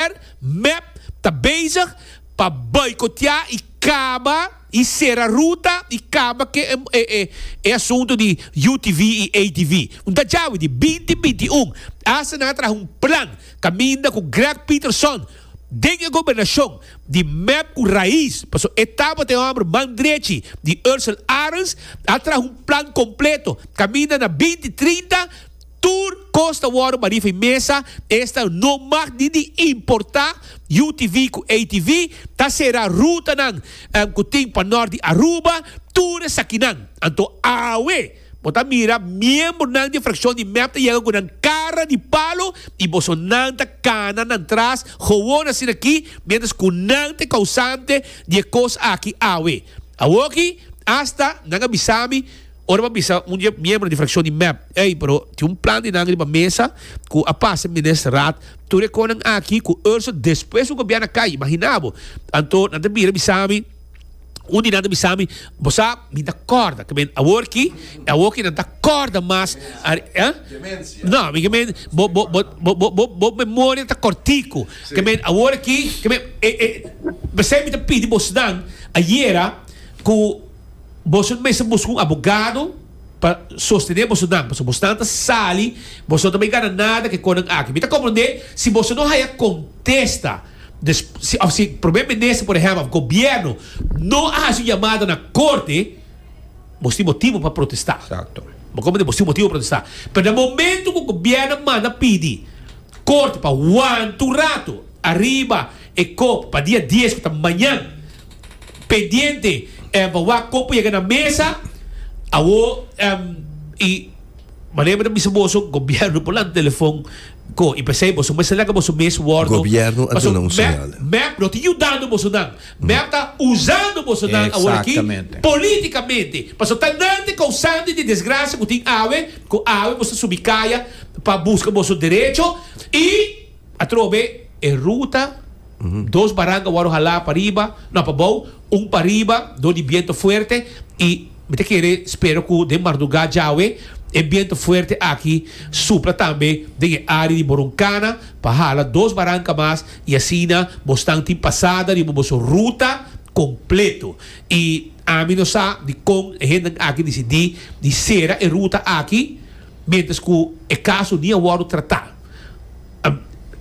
Niger, mep, ta bezig pa boikoteá i kaba i sera ruta i kaba ke e asuntu di UTV i ATV. Un ta djawe di binti binti un asina a traha un plan kaminda ku Greg Peterson den e gobernashon di mep ku rais, paso e tabata e hòmber man drechi di Ursel Arends, a traha un plan kompleto kaminda na binti trinta. Tur kos ta wòrdu barí fu e mesa, esta no mag ni di importá. UTV ku ATV ta será rutanan ku tin pa nòrt di Aruba, tur esakinan. Anto awe bo ta mira miembronan di e frakshon di mep ta yega ku nan kara di palo i bosonan ta kana nan tras gowon asina aki miéntras ku nan ta e kousante di e kos aki awe. Awoki asta nan a bisa mi. Ora bo a bisa un di e miembro di frakshon di mep, ey, pero tin un plan di nan riba mesa ku a pasa Minister Raad, tur e konan aki ku Urso despues ku gobièrna kai, imaginá bo, anto nan ta bira bisa mi, un di nan ta bisa mi, bo sa, mi ta kòrda, ke men, awor ki, e awor ki nan ta kòrda mas, eh? No, mi ke men, bo, bo, bo, bo, bo, bo, bo memoria ta kòrtiku, ke men, awor aki, ke men, e, e, p'esei mi ta pidi bosnan ayera ku. Boso mester buska un abogado pa sostené boso nan, pasobra boso nan ta sali, boso no ta bay gana nada ku e konan aki. Mi ta komprendé si boso no haya kontesta, des, si, òf si Prome Minister, por ehèmpel, òf Gobièrnu no a hasi un yamada na Korte, boso tin motibu pa protestá. Exacto. Bo komprendé? Boso tin motibu pa protestá. Pero den momentu ku Gobièrnu a manda pidi Korte pa wanta un ratu ariba e kop pa dia dies, ku ta mañan, Pendiente em a wak con por yega na mesa awor em y manera mi ta bisa boso gobierno por lanta telefon con y pesey boso mester laga boso mes wordo Gobierno a paso duna un mep señal. mep no ta yudando boso nan mep ta usando boso nan awor aki Exactamente. politicamente paso ta nan ta e causante di desgracia cu tin awe cu awe boso ta subi caya pa busca boso derecho y Atrobe e ruta, dos baranka wòrdu halá pa riba, nò pa bou, un pa riba, dor di bientu fuerte, i mi ta kere spera ku den mardugá djawe e bientu fuerte aki supla tambe den e área di Boroncana pa hala dos baranka mas i asina bo stan tin pasada riba boso ruta kompletu. I ami no sa dikon e hendenan aki disidí di sera e ruta aki miéntras ku e kaso ni a wòrdu tratá.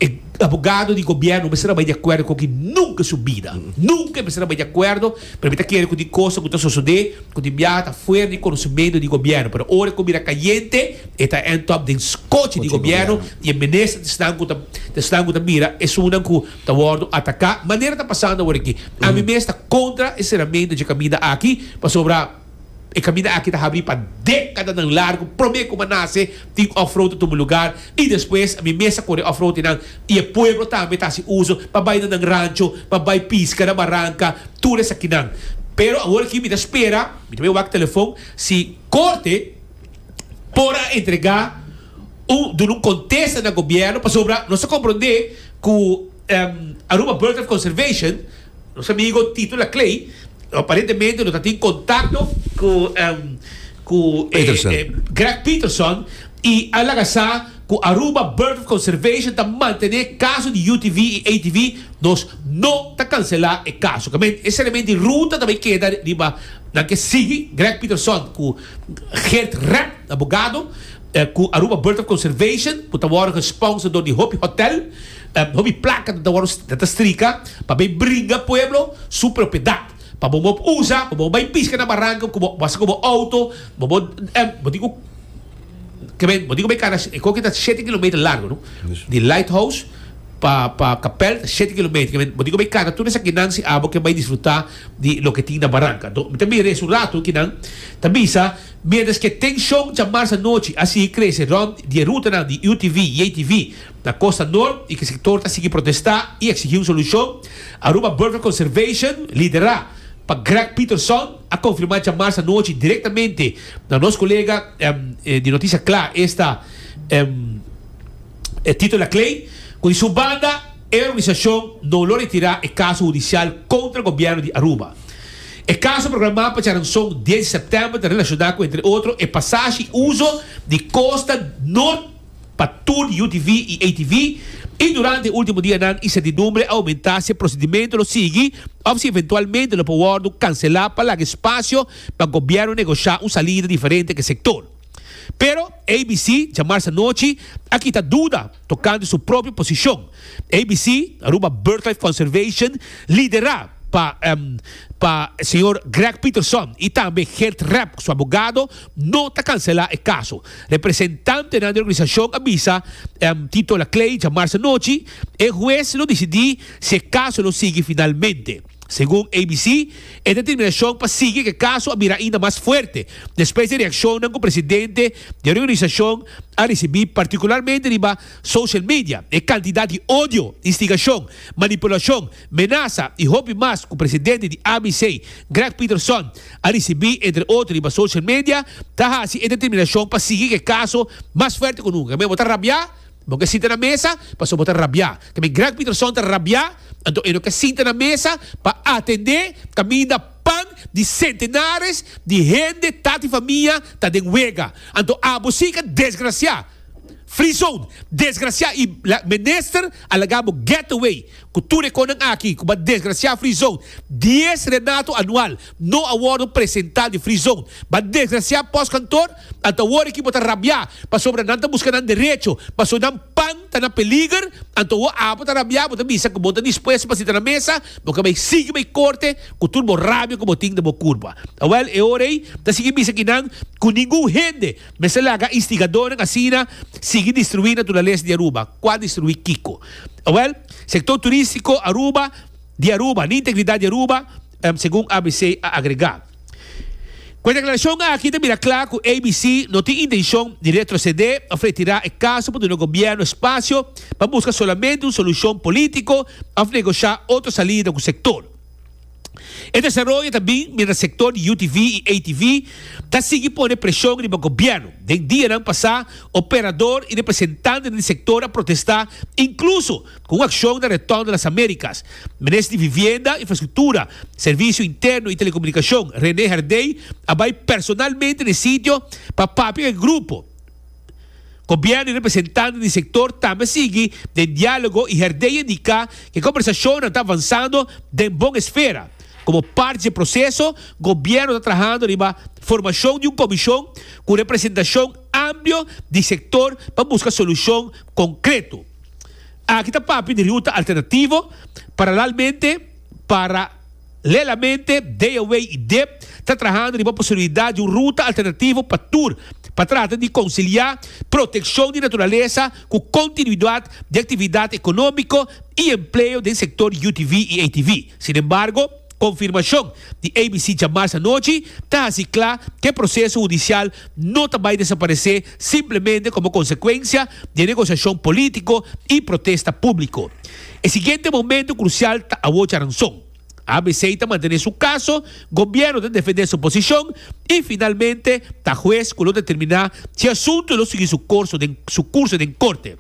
E abogado di gobierno mester a bai di acuerdo cu aki nunca su bida. Nunca e mester a bai di acuerdo, pero mi ta kere cu tin cosnan cu ta sosode cu tin biaha ta fuera di conocemento di gobierno, pero ora cu mira cayente e ta end up den scochi di gobierno y e minister esnan cu ta esnan cu ta mira esunnan cu ta wordo ataca manera ta pasando aworaki. Ami mes ta contra e cerramento dje caminda aki pasobra. E kaminda aki ta habri pa dekadanan largu, promé ku Manase tin òfrout ta tuma lugar i despues mi mes a kore òfroutinan i e pueblo tambe ta hasi uso pa bai na nan rancho, pa bai piska na baranka, tur esakinan. Pero awor aki mi ta spera, mi ta bai wak telefon, si Korte por a entregá un, duna un kontesta na Gobièrnu, pasobra nos ta komprondé ku Aruba Bird of Conservation, No sa bigo Tito la Clay, aparentemente lo ta tin contacto cu cu Greg Peterson y a laga sa cu Aruba Bird of Conservation ta mantene caso di UTV y ATV, nos no ta cancela e caso. Ca men e seriamente e ruta ta bay keda riba nan ke sigui Greg Peterson cu Geert Rep, abogado, cu Aruba Bird of Conservation cu ta wordo gesponsor door di hopi hotel. Hopi plaka ta wòrdu ta strika pa bai bringa pueblo su propiedad. Pa bo mop usa, pa bo bai piska na baranko ku bo hasi ku bo outo, bo bo bo tin ku kiben bo tin ku bai kara e koki ta shete kilometer largu no. Di Lighthouse pa pa Kapèl ta shete kilometer kiben bo tin ku bai kara tur esakinan si abo ke bai disfrutá di loke tin na baranka. Anto mi ta mira esun ratu ki nan ta bisa miéntras ke tenshon chamarse anochi a sigui krese rònt di e rutanan di UTV, JTV. Na Costa Nort, e ki sektor ta sigui protesta i eksigi un solushon. Aruba Burger Conservation, liderá pa Greg Pieterson, a konfirmá djamas anochi direktamente na nos kolega di Notisia Kla esta Tito Laclay, ku di su banda e organisashon no lo retirá e kaso hudisial kontra gobièrnu di Aruba. E kaso programá pa charanson dies di sèptèmber ta relashoná ku entre otro e pasashi i uso di Costa Nort. pa tur di UTV y ATV y durante e ultimo dianan incertidumbre a aumenta si e procedimento lo sigui of si eventualmente lo por wordo cancela pa laga espacio pa gobierno negocia un salida diferente pa e sector. Pero ABC djamars anochi a kita duda tocante su propio posicion. ABC, Aruba Birdlife Conservation, lidera pa pa señor Greg Peterson y tambe Geert Rep cu su abogado no ta cancela e caso. Representantenan di organisashon a bisa Tito Laclay djamarsa anochi e hues lo disidí si e kaso lo sigui finalmente. Segun ABC, e determinashon pa sigui ku e kaso a bira ainda mas fuerte despues di reakshonnan ku presidente di reorganisashon a risibí partikularmente riba social media e kantidat di odio, instigashon, manipulashon Meenasa i hopi mas ku presidente di ABC, Greg Peterson, a risibí, entre otro riba social media, ta hasi e determinashon pa sigui ku e kaso mas fuerte ku nunka. Tambe bo ta rabiá? Bo ke sinta na mesa pasobra bo ta rabiá. Tambe Greg Peterson ta rabiá, anto e no ke sinta na mesa pa atendé kaminda pan di sentenares di hende, tata i famia ta den wega. Anto abo si ka desgrasiá! Free zone! Desgrasiá! I Minister a laga bo get away! Ku tur e konan aki ku ban desgrasiá Free Zone, dies renato anual no a wòrdu presentá di Free Zone. Ban desgrasiá pòskantor, anta awor aki bo ta rabiá pasobra nan ta buska nan derecho, ma so nan pan ta na peliger, anta awor abo ta rabiá bo ta bisa ku bo ta dispuesto pa sita na mesa, bo ka bai sigui bai korte ku tur bo rabia ku bo tin den bo kurpa. Awèl, e ora ei ta sigui bisa kinan ku ningun hende mester laga instigadónan asina sigui destruí naturalesa di Aruba. Kua destruí kiko? Awel, Sector Turistico Aruba di Aruba ni Integridad di Aruba, segun abc a agrega. Cu e declaracion aki ta mira cla cu abc no tin intencion di retrocede of retira e caso pa duna Gobierno espacio pa busca solamente un solucion politico of negocia otro salida cu sector. E desaroyo ta bin mientras sector di UTV y ATV ta sigui pone presion riba gobierno. Den dianan pasa, operador y representante den di sector a protesta, incluso cu un accion na Retorno de las Americas. Minister di Vivienda, Infrastructura, Servicio Interno y Telecomunicacion, Rene Herdey, a bay personalmente na e sitio pa papia cu e grupo. Gobierno y representantenan di sector tambe sigui den dialogo y herdey indica cu e conversacionnan ta avanzando den bon esfera. Como parti dje proceso, Gobierno ta trahando riba formacion di un comision cu representacion amplio di sector pa busca solucion concreto. Aki ta papia di ruta alternativo paralelmente para. Paralelamente, DOWI i dep ta trahando riba posibilidat di un ruta alternativo pa tur, pa trata di konsiliá protekshon di naturalesa ku kontinuidat di aktividat ekonómiko i empleo den sektor di UTV i ATV. Sinembargo, konfirmashon di ABC djamars anochi ta hasi kla ku e proseso hudisial no ta bai desaparesé simplemente komo konsekuensia di e negosiashon polítiko i protesta públiko. E siguiente momento crucial ta awocha ranson. ABC ta mantene su caso, gobierno ta defende su posicion y finalmente ta huez cu lo determina si asunto lo sigui su corso den su curso den corte.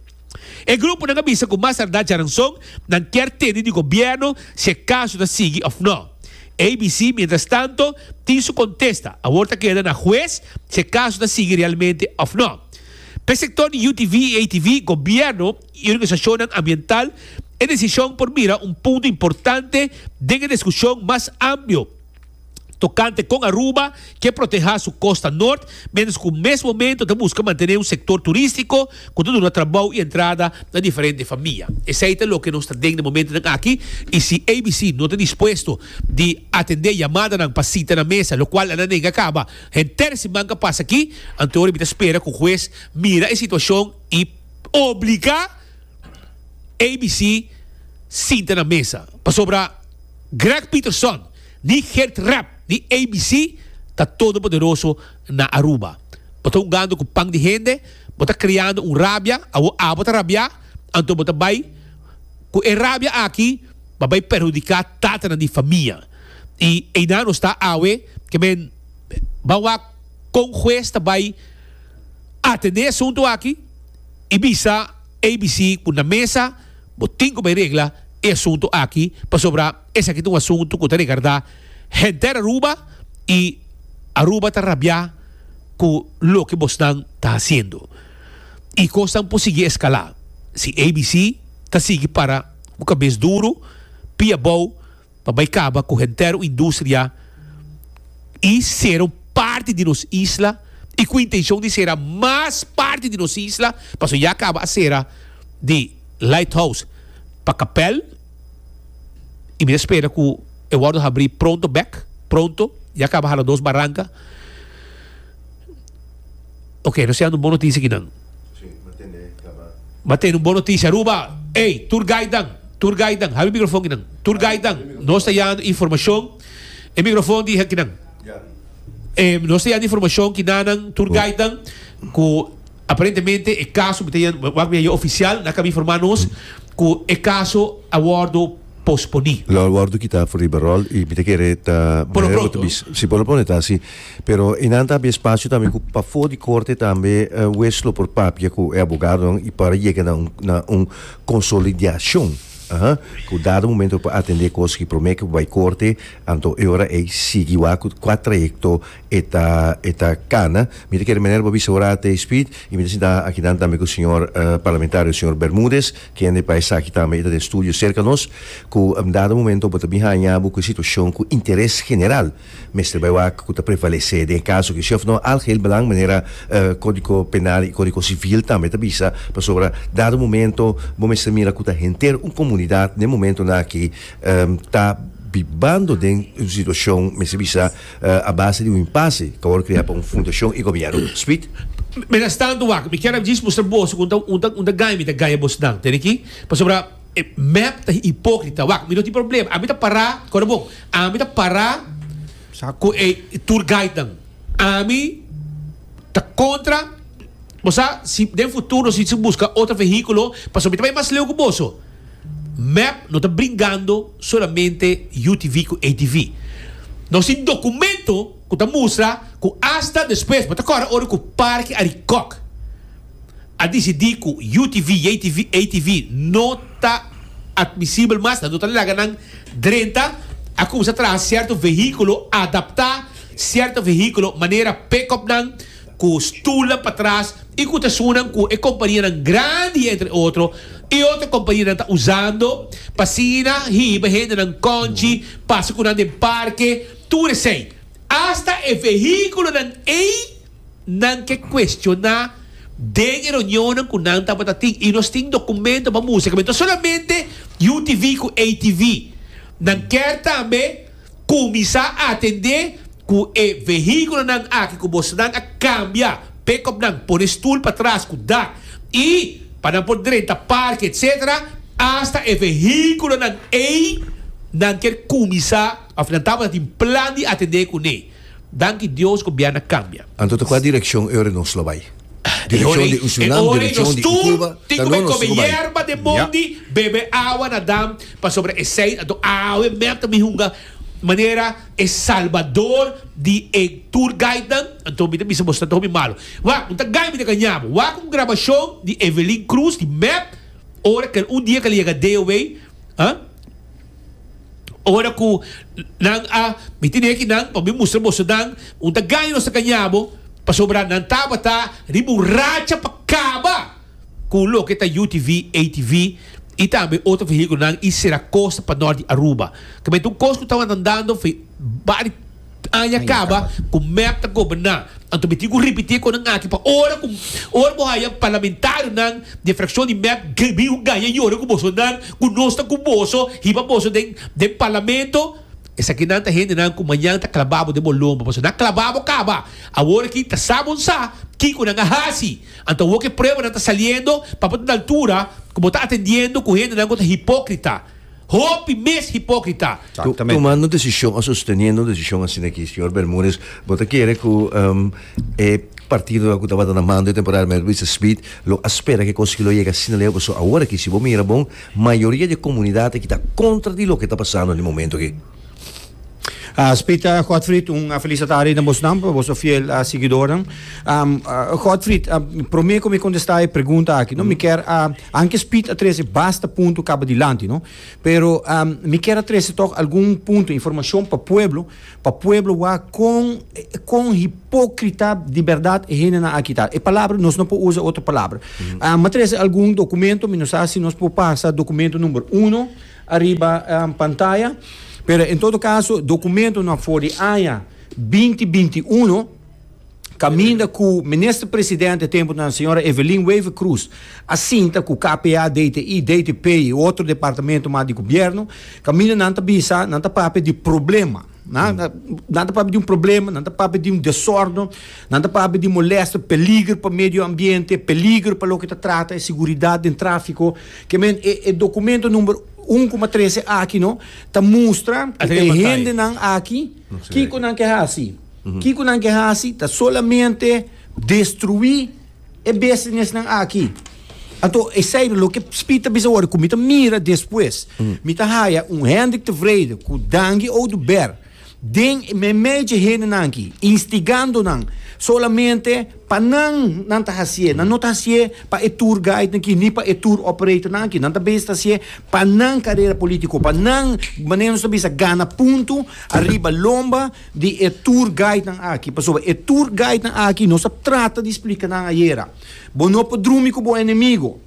E gruponan a bisa cu mas tarda djaranson nan kier tene di gobierno si e caso ta sigui of no. ABC mientras tanto tin su contesta, awor ta keda na huez si e caso ta sigui realmente of no. P'e sector di UTV y ATV, gobierno. y organisacionnan ambiental, e decision por mira un punto importante den e discusion mas amplio tocante con Aruba ke proteha su costa Noord mientras cu mes momento ta busca mantene un sector turistico cu ta duna trabou y entrada na diferente famia. Esey ta loke nos ta den na momentonan aki y si ABC no ta dispuesto di atende yamadanan pa sita na mesa, lo cual nan nega caba henter si manca pasa aki, anto ora mi ta spera cu Hues mira e situacion y. obliga ABC sinta na mesa pasobra Greg Peterson ni Geert Rep di ABC ta todopoderoso na Aruba. Bo ta hungando cu pan di hende, bo ta creando un rabia, awor abo ta rabia, anto bo ta bay cu e rabia aki pa bay perhudica tatanan di famia. Y eynan nos ta awe, ke men ban wak con huez ta bay. Atendé asuntu aki i bisa abc ku na mesa bo tin ku bai regla e asuntu aki pasobra esaki ta un asuntu ku ta regardá henter Aruba i Aruba ta rabiá ku loke bosnan ta hasiendo i kosnan por sigui eskalá si abc ta sigui para ku kabes duru, pia bou. pa bai kaba ku henter industria i sera un parti di nos isla i ku intenshon di sera mas parti di nos isla pasobra ya kaba a sera di Lighthouse pa Kapèl i mi ta spera ku e wòrdu habrí pronto bèk pronto ya kaba hala dos baranka. Ok, nos siando un bon notisia kinan. M'a tene un bon notisia Aruba! Ey, tour guide nan! Tour guide nan! Habi microfon kinan. Tour guide nan, nos ta yando informacion. E microfon di kinan. Ey, nos ta yando informacion kinanan, tour guide nan, cu aparentemente e caso, mi ta yendo, wak mi a yu oficial, nan a caba informa nos cu e caso a wordo. posponi. Lo a wòrdu kitá for riba ròl i mi ta kere ta mehor bo ta si por lo pone ta asi pero i nan ta habia espacio tambe ku pafó di korte tambe e wes lo por papia ku e abogadonan i para yega na un na un konsolidiashon aha ku dado momento lo por atendé kos ku promé ku bai korte anto e ora ei sigui wak ku kua trayekto e ta e ta kana mi ta kere manera bo bisa ora te Speed i mi ta sinta akinan tambe ku señor parlamentario señor Bermudez. Kende pa esaki tambe e ta den studio serka nos ku un dado momento bo ta bin haña bo ku e situashon ku interes general mester bai wak ku ta prevalesé. Den e kaso akí shèf no algeheel belang manera Kódigo Penal i Kódigo Sivil tambe ta bisa pasobra dado momento bo mester mira ku ta henter un komunidat den momentonan akí ta bibando den un situashon mester bisa A base di un impase ka wòrdu krea pa un fundashon i gobièrnu. Sweet. Mientras tanto wak, mi kier a djis mustra boso ku un ta gaña mi ta gaña bosnan. Tende aki? Pasobra e mep ta hipókrita. Wak, mi no tin problema. Ami ta pará, kòrda bon, ami ta pará ku e tour guidenan. Ami ta kontra, bo sa, si den futuro si ta buska otro vehíkulo, pasobra mi ta bai mas leu ku boso. Mep no ta bringando solamente UTV cu ATV. Nos tin documento cu ta mustra cu hasta despues, bo ta kòrda ora cu Parke Arikòk a dicidi cu UTV y ATV no ta admisibel mas, nan no ta laga nan drenta, a cuminsa traha cierto vehiculo, adapta cierto vehiculo, manera pick-upnan, cu stoelnan patras y cu ta sunan cu e companianan grandi entre otro y otro companianan ta usando pa asina hiba hendenan conchi pasa cu nan den parke tur esey hasta e vehiculonan ey nan ke cuestiona den e reunionnan cu nan tabata tin y nos tin documento pa mustra cu me ta solamente UTV cu ATV nan kier tambe Kuminsá atendé ku e vehíkulonan aki ku bosonan a kambia, pekopnan, pone stul patras ku dak i pa nan por drenta parke etsetera asta e vehíkulonan ei nan kier kuminsá òf nan tabata tin plan di atendé kuné. Danki Dios ku bierna kambia. Anto ta kua direkshon e ora nos lo bai? Direkshon di un sunam, direkshon di un kuba, ta no nos lo bai. Bebe awa na dam pasobra esei anto awe mer ta mi hunga manera e salbador di e tour guide nan anto mi ta bisa bo sataho mi malo wak un ta gai mi ta gaña bo wak un grabashon di Evelyn Cruz di mep ora kel un dia kel a yega DOW ha. Ora ku nan a miti ne'e ki nan, pa mi mustra boso nan un ta gaña nos ta gaña bo, pasobra nan tabata riba un racha pa kaba ku loke ta UTV, ATV i tambe otro vehíkulonan i sera kosta pa nort di Aruba. Tamenti un kos ku tabantan dando fe bari. Aña kaba ku mep ta goberná. Anto mi tin ku ripití e konan aki pa ora ku ora bo haya parlamentarionan di e frakshon di mep mi un gaña yora ku bosonan ku nos ta ku boso hiba boso den den parlamento. Esakinan ta hendenan ku mañan ta klabá bo den bo lomba pasobra nan a klabá bo kaba. Awor aki ta sa bon sa kiko nan a hasi. Anto awor ku e pruebanan ta saliendo papia ta un altura ku bo ta atendiendo ku hendenan ku ta hipókrita. Hopi mes hipókrita. Tumando desishon o sosteniendo desishon asina ki, señor Bermudez, bo ta kere ku e partidonan ku tabata na mando e temporada mester bisa sbid lo a spera ku e kos aki lo yega asina leu? Pasobra awor aki si bo mira bon, mayoria di e komunidat aki ta kontra di loke ta pasando na e momento aki. Ah, Spit uh, Godfried, un uh, felicitari na bosnan, pa boso fiel uh, seguidoren. Um, uh, Godfried, uh, prome ko mi contesta e pregunta aki, no? Mm. Mi ker, uh, anke Spit a trece basta punto cabo dilanti, no? Pero um, mi ker a trece toch algun punto, informacion pa pueblo, pa pueblo wa con, con hipocrita di verdad e hene na akita. E palabra, nos no po usa otro palabra. Mm. Uh, ma trece algun documento, mi no sa si nos po pasa documento number uno, ariba pantaya pero en todo caso documentonan for di aña binti binti uno caminda cu Minister Presidente e temponan señora Evelyn Wever Croes a sinta cu KPA, DTI, DTP y otro departamento mas di Gobierno caminda nan ta bisa nan ta papia di problema. Nan ta papia di un problema, nan ta papia di un desordo, nan ta papia di molesta, peliger pa medio ambiente, peliger pa loke ta trata e siguridad den trafiko. Ke men e e dokumento number un kuma trese aki no ta mustra ku e hendenan aki kiko nan ke hasi. Kiko nan ke hasi ta solamente destrui E bestinesnan aki. Anto, esei lo ke Spit ta bisa wòrdu, ku mi ta mira despues, mi ta haya un Hendrik te Vrede ku Dangi Oduber den e meidje hendenan aki, instigando nan solamente pa nan nan ta hasié. Nan no ta hasié pa e tour guide nan ki ni pa e tour operator nan aki. Nan ta bes ta hasié pa nan karera polítiko, pa nan, manera nos ta bisa, gana puntu ariba lomba. di e tour guidenan aki pasobra e tour guidenan aki nos a trata di splika nan ayera bo no por drumi ku bo enemigo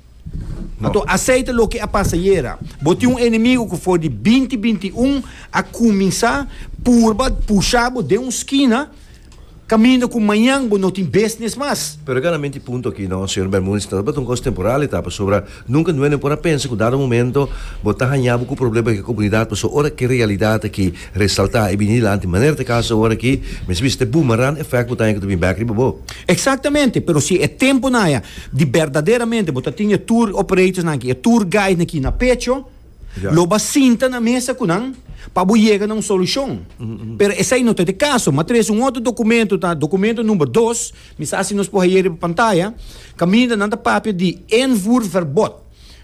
anto aseita loke a pasa ayera bo tin un enemigo ku for di binti binti i un a kuminsá purba pushá bo den un skina kaminda ku mañan bo no tin bisnis mas. Pero e ganamenti punto aki no señor Bermudez ta tabata un kos temporal e ta pasobra. Nunka nuene por a pensa ku dado momento bo ta hañá bo ku problema di e komunidat pasobra ora ki realidat aki resaltá i bini dilanti manera ta kasa awor aki mester bisa ta e boomerang effect bo ta haña ku ta bin bèk riba bo. Eksaktamente, pero si e tempunan aya di berdaderamente bo ta tin e tour operators aki, e tour guide aki na pecho, lo bo a sinta na mesa ku nan pa bo yega na un solushon. Pero esei no ta e kaso. Matres un otro dokumento ta dokumento number dos. Mi sa si nos por haye riba pantaya, caminda nan ta papia di invoerverbod.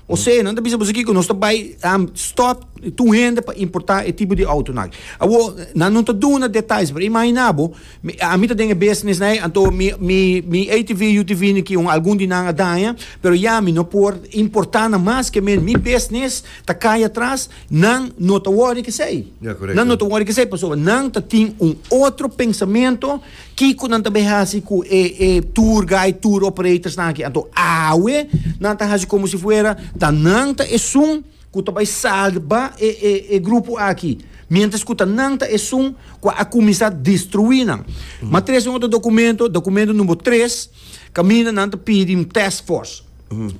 Osea, nan ta bisa boso kico, nos ta bay stop tur hende pa importa e tipo di auto nan. Awor, nan no ta duna detais, pero imagina bo, ami ta den e business na e, anto mi, mi, mi ATV, UTV nan kico, algun di nan a daña, pero ya mi no por importa nan mas, ke men mi business ta cay atras, nan no ta worry kesey. Ya, correcto. Nan no ta worry kesey, pasobra nan ta tin un otro pensamento. Kiko nan ta bai hasi ku e e tour guide, tour operators nan aki? Anto awe nan ta hasi komo si fuera ta nan ta esun ku ta bai salba e e e grupo aki, miéntras ku ta nan ta esun ku a kuminsá destruí nan. M'a trese un otro dokumento, dokumento number tres, kaminda nan ta pidi un task force.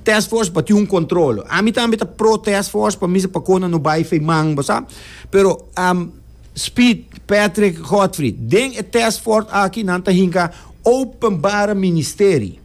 Task force pa tin un kontrol. Ami tambe ta pro task force pa misa pa kon nan no bai feimang, bo sa. Pero, am. Speed, Patrick Godfrey. Den e test fort aki nan ta hinka openbare ministeri.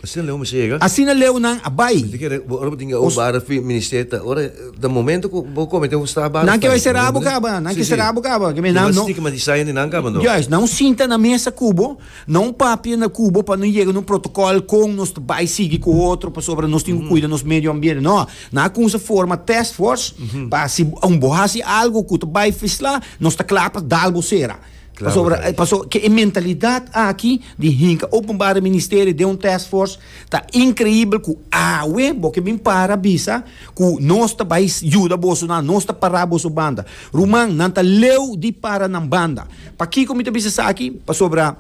Asina leu mester yega? Asina leu nan a bai. Mester keda bo ora bo tin openbare ministeri ta ora ta momento ku bo komete un strafbare. Nan ke bai sera bo kaba, nan ke sera bo kaba. Ke men nan no. Stigmatisaye di nan kaba no. Juist, nan un sinta na mesa ku bo, nan un papia na ku bo pa no yega na un protokol kon nos ta bai sigui ku otro pasobra nos tin ku kuida nos medio ambiente. No. Nan a cuminsa forma task force pa si bo haci algo cu ta bay fisla nos ta cla pa dal bo cera. Pasobra paso ke e mentalidad aki di hinca openbare ministerio den un task force ta increibel cu awe bo ke bin para bisa cu nos ta bay yuda boso nan nos ta para boso banda. Ruman nan ta leu di para nan banda. Pakico mi ta bisa esaki pasobra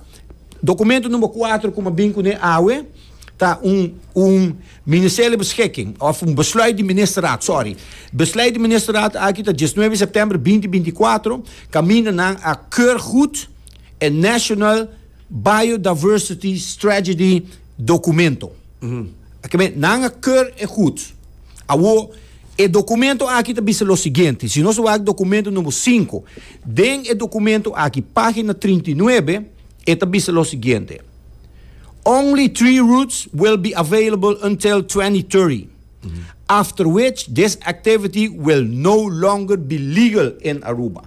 documento number cuatro cu mi a bin cune awe ta un un Ministerio Beschikking of un Besluit di Ministerraad, sorry, Besluit di Ministerraad aki ta diesnuebe September binti binti kuater, kaminda nan a keur gud e National Biodiversity Strategy documento. Oke, nan a keur e gud. Awo, e documento aki ta bisa lo siguiente, si nos wak documento number sinku, den e documento aki, pagina trinta i nuebe, e ta bisa lo siguiente, Only three routes will be available until twenty thirty, after which this activity will no longer be legal in Aruba.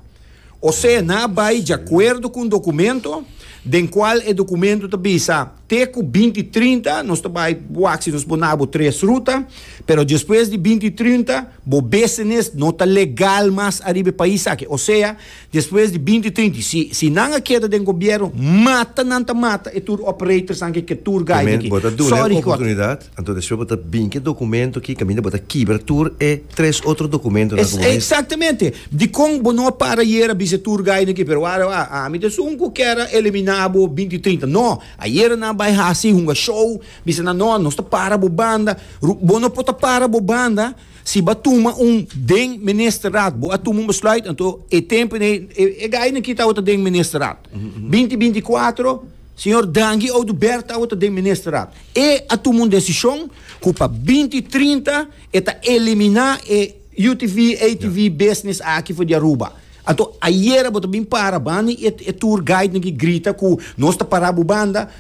Osea nan a bai diacuerdo cu un documento den cual e documento ta bisa te cu binti trinta nos ta bai wak si nos por na bo tres ruta, pero despues di binti trinta bo business no ta legal mas ariba e pais aki. Osea. Despues di binti trinti, si si nan a keda den gobierno, mata nan ta mata e tour operators nan ke ke tour guide aki. Sorry Kort. Oportunidad, anto despues bo ta bin ke documento aki caminda bo ta kibra tur e tres otro documento nan cu bo mester. Exactamente. Dicon bo no a para ayer a bisa e tour guide aki pero wak wak wak ami ta esun cu kier a elimina bo binti trinta. No, ayer nan a bay haci hunga show bisa nan no nos ta para bo banda. Bo no por ta para bo banda. Si bo a tuma un den Ministerraad, bo a tuma un besluit, anto e tempo nei, e, e gai no ki tawata den Ministerraad. Binti binti kuater, señor Dangi Oduber tawata den Ministerraad. E a tuma un desishon ku pa binti trinta e ta eliminá e UTV, ATV business aki for di Aruba. Anto ayera bo ta bin para banda di e, e tour guidenan ki grita ku nos ta pará bo banda,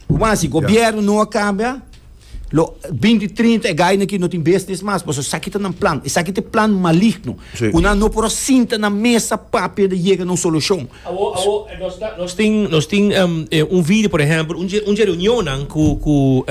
bo masi, gobierno no a kambia, Lo binti trinta e gainan aki no tin business mas pasobra esaki ta nan plan. Esaki ta e plan maligno ku nan no por a sinta na mesa papia di yega na un solushon. Awo, awo, nos ta, nos tin, nos tin un video, por ehèmpel, un dje, un dje reunionnan ku, ku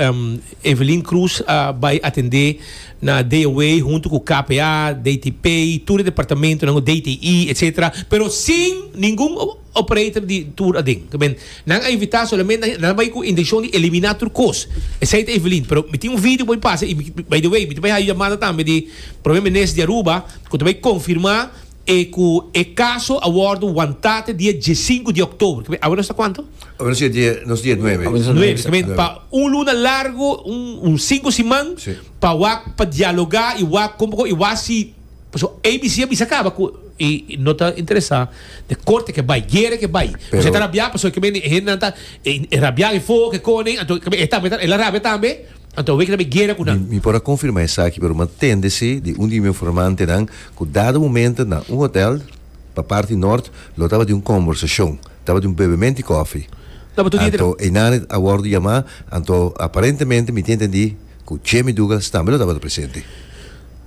Evelyn Cruz a bai atendé na DOW huntu ku KPA, DTP, tur e departamentunan, DTI, etcetera, pero sin ningun. operator di tur aden. Ta ben, nan a invita solamente nan a bai cu intencion di elimina tur cos. Esey ta Evelyn. Pero mi tin un video por mi pasa y by the way mi ta bai haci yamada tambe di Prome Minister di Aruba cu ta bai confirma e cu e caso a wordo wanta te dia diescinco di October. Ta ben, awe nos ta cuanto? Awe nos dia, nos dia nuebe. Awe nos ta nuebe. Ta ben, pa un luna largo, un cinco siman, pa wak pa dialoga y wak con poco y wak si. Pasobra ABC a bisa caba cu e no ta interesa den corte ke bay, guera ke bay. Pero. Pues e ta rabia pasobra e kibe e hendenan ta e rabia den fogo ke conen anto kibe e tambe el a rabia tambe anto weken e guera cu nan. Mi por a confirma esaki pero mi a tende si di un di mi informantenan cu dado momento na un hotel pa parti Nort lo tabata un conversacion, tabata un bebemen di coffee. No, but today. Anto einan a wordo yama anto aparentemente mi tin tendi cu Chemi Dougals tambe lo tabata presente.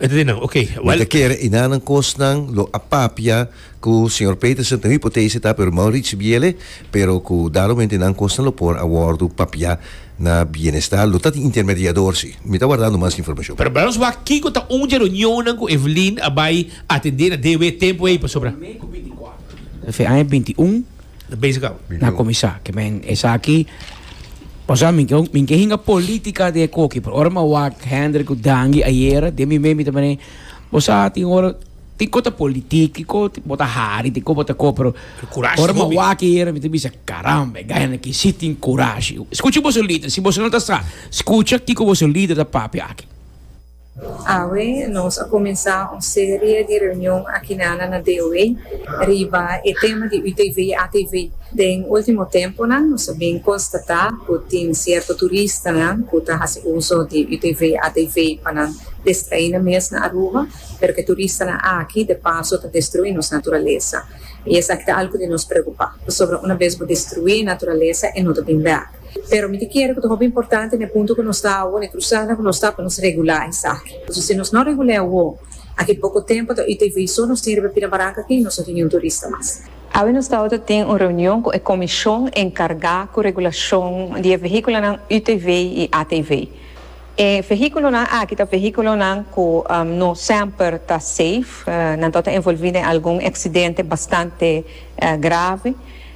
Enta di nan, Oké, Mi ta kere i nanan kosnan lo a papia ku señor Peterson, ta un hipotese ta, pero Maurits ricibi el e, pero ku dado momento i nan kosnan lo por a wòrdu papiá na Bienestar, lo ta tin intermediador si. Mi ta wardando mas informashon. Pero bra nos wak kiko ta un dje reunionnan ku Evelyn a bai atendé na DW tempu ei pasobra. Fe aña binti un Na basic awa. Mino. Na comisá. Ke men esaki, pasá mi ke mi ke hinga política di e koki, pero ora mi a wak Hendrik ku Dangi ayera, den mi mente mi ta mane, bo sa tin ora, tin ko ta politiek, tin ko bo ta hari, tin ko bo ta ko, pero Pero kurashi ora mi a hopi. wak ayera mi ta bisa, caramba, e gaynan aki si tin kurashi. Skucha boso lider, si boso no ta sa, skucha kiko boso lider ta papia aki. Awe nos a cuminsa un serie di reunion akinana na DOW riba e tema di UTV y ATV. Den ultimo temponan nos a bin constata cu tin cierto turistanan cu ta haci uzo di UTV y ATV pa nan despeine mes na Aruba, pero cu e turistanan aki de paso ta destrui nos naturalesa. Y esaki ta algo di nos preocupa, pasobra una bes bo destrui e naturalesa e no ta bin bèk. Pero mi ta kere ku ta hopi importante na e punto ku nos ta awo, na e krusada ku nos ta, pa nos regulá esaki. Pasobra si nos no regul'é awo, aki poko tempu ta oita ivei so nos tin riba Pina Baranka aki, nos no tin niun turista mas. Awe nos tawata ta tin un reunion ku e komishon enkargá ku regulashon di e vehíkulonan utv i atv. E vehíkulonan aki ta vehíkulonan ku no semper ta safe, nan tawata envolví den algun eksidente bastante grave.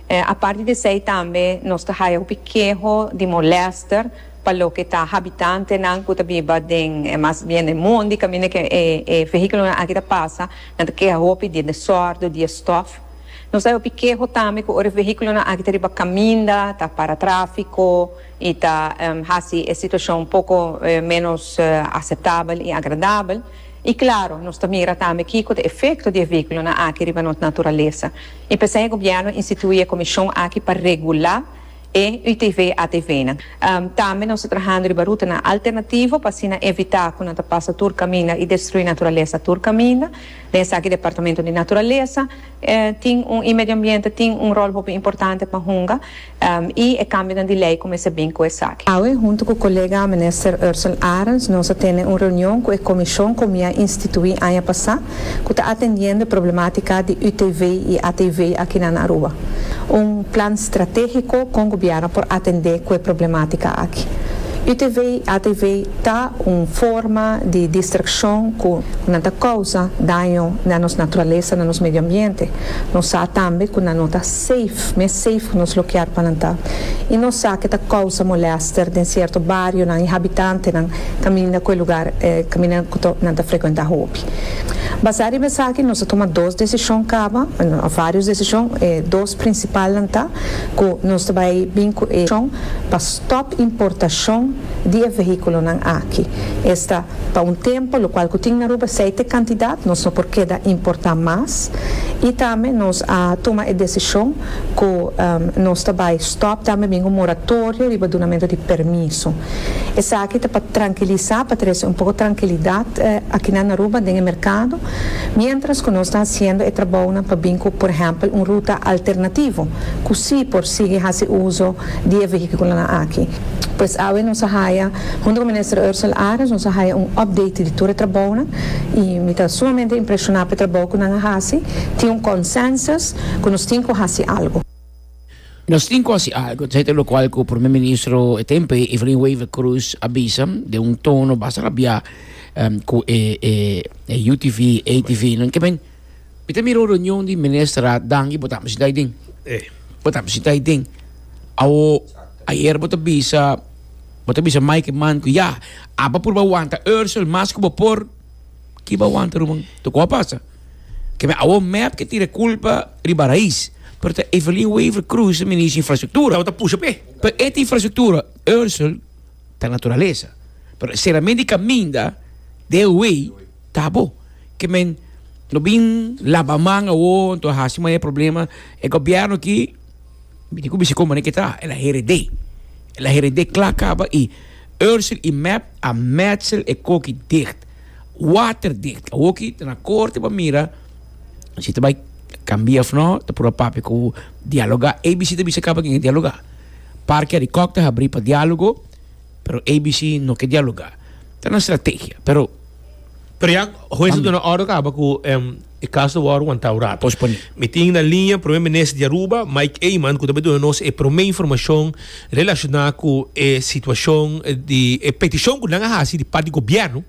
Aparte di esey tambe nos ta haya hopi keho di molester pa loke ta habitantenan cu ta biba den e mas bien den mondi caminda cu e vehiculonan aki ta pasa nan ta keha hopi di e desordo di e stof. Nos ta haya hopi keho tambe cu ora e vehiculonan aki ta riba caminda ta para trafico y ta haci e situacion poco menos aceptabel y agradabel y claro nos ta mira tambe kico ta e efecto di e vehiculonan aki riba nos naturalesa. I p'esei e gobièrnu institui e komishon aki pa regulá e UTV ATVnan. Tambe nos ta trahando riba rutanan alternativo pa asina evitá ku nan ta pasa tur kaminda i destruí naturalesa tur kaminda. Den esaki Departamento di Naturalesa tin un i Medio Ambiente tin un ròl hopi importante pa hunga. y e cambionan di ley cu mester bin cu esaki. Awe hunto cu colega Minister Ursel Arends nos a tene un reunion cu e comision cu mi a institui aña pasa cu ta atendiendo e problematica di UTV y ATV akinan na Aruba. Un plan strategico con Gobierno por atende cu e problematica aki. UTV y ATV ta un forma di distraccion cu nan ta causa daño na nos naturalesa, na nos medio ambiente. Nos sa tambe cu nan no ta safe. Mes safe ku nos lo kier pa nan ta. I nos sa ke ta kousa molester den sierto barionan i habitantenan kaminda ku e lugar kaminda ku nan ta frekuentá hopi. Basá riba esaki nos a tuma dos desishon kaba, òf vários desishon. E dos prinsipalnan ta ku nos ta bai bin ku e desishon pa stòp importashon di e vehíkulonan aki. Esta. Pa un tempo lo cual cu tin Aruba seite cantidad nos no por keda importa mas y tambe nos a tuma e decision cu nos ta bay stop tambe bin un moratorio riba dunamento di permiso. Esaki ta pa trankilisa, pa trece un poco trankilidad akina na Aruba den e mercado, mientras cu nos ta haciendo e trabounan pa bin cu por ehempel un ruta alternativo cu si por sigui haci uzo di e vehiculonan aki. Pues awe nos a haya, hunto cu Minister Ursel Arens, nos a haya un update di tur e trabounan y mi ta sumamente impresiona p'e trabou cu nan a haci. Tin un consensus cu nos tin cu haci algo. Nos tin cu haci algo, ta hete locual cu Prome Ministro e tempo ei, Evelyn Wever Croes, a bisa den un tono basta rabiá cu e UTV, ATV, nan ke ben Mi ta mira un reunion di Ministerraad Danki bo ta haber sintá aydin. Bo ta haber sintá aydin. Awo ayer bo ta bisa bo ta bisa Mike e man ku ya aba purba wanta Ursel mas ku bo por ki bo a wanta ruman tok ku a pasa. Keme awo mep ke tira e kulpa riba rais pero ta Evelyn Wever Croes ta minister di infrastruktura. Awo ta pusha p'e. Pero e ta infrastruktura. Ursel ta naturalesa pero e seramentu di kaminda de e wei. ta bo ke men lo bin laba man awor enton a hasi maya problema e gobierno aki mi tin ku bisa kon manera ke ta el a herede el a herede kla kaba i ursil i mep a metsel e koki dicht water dicht awor ki ta na korte pa mira si ta bai kambia of no ta por a papia ku dialoga abc ta bisa kaba ken a dialoga parke di kòk ta habri pa dialogo Pero ABC no ke dialoga. Ta nan strategia pero. Pero ya hues a duna ordo kaba ku e kaso wòrdu wantá un rato. Posponi. Mi tin na liña Prome Minister di Aruba, Mike Eman, ku ta bai duna nos e prome informashon relashoná ku e situashon di e petishon ku nan a hasi di pàrt di gobièrnu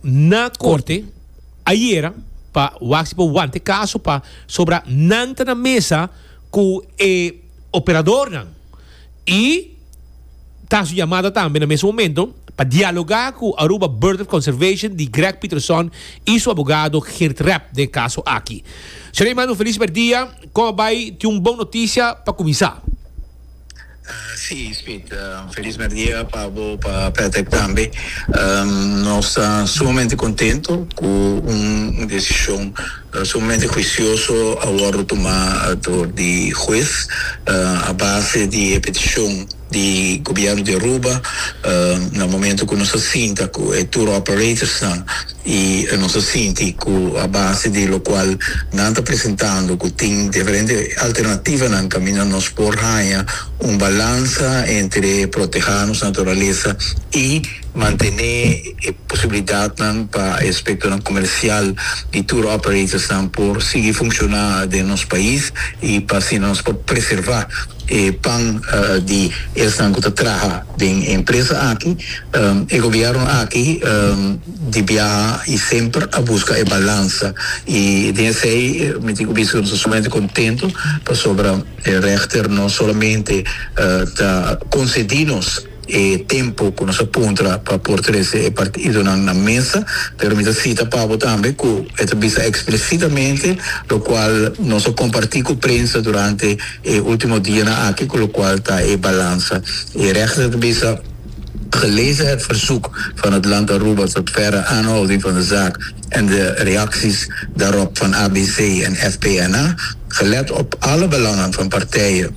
na Korte ayera pa wak si por wanta e kaso pasobra nan ta na mesa ku e operadornan. I ta haci un llamada tambe na mes momento pa dialoga cu Aruba Bird of Conservation di Greg Pieterson y su abogado Geert Rep den e caso aki. Shereen manda un feliz merdia. Con a bay tin un bon noticia pa cuminsa. Si, Speed. Un feliz merdia pa bo, pa Patrick tambe. Nos ta sumamente contento cu un decision Nos un mente huicioso a wordo tuma door di huez a base di e peticion di Gobierno di Aruba na momento cu nos a sinta cu e tour operatorsnan y nos a sinti cu a base di locual nan ta presentando cu tin diferente alternativanan caminda nos por haya un balansa entre proteha nos naturaleza y mantene e posibilidatnan pa e aspektonan komersial di tour operatorsnan por sigui funshoná den nos pais i pa asina nos por preservá e pan di esnan ku ta traha den e empresa aki. E gobièrnu aki di biaha i semper a buska e balansa i den esei mi tin ku bisa ku nos ta sumamente kontentu pasobra e règter no solamente ta konsedí nos, e tempo cu nos a puntra pa por trece e partidonan na mesa, pero mi ta cita Pabo tambe cu e ta bisa explicitamente, locual nos a comparti cu prensa durante e ultimo dianan aki, cu locual ta e balansa. E rechter ta bisa, Gelezen het verzoek van het land Aruba tot verdere aanhouding van de zaak en de reacties daarop van ABC en FPNA, gelet op alle belangen van partijen,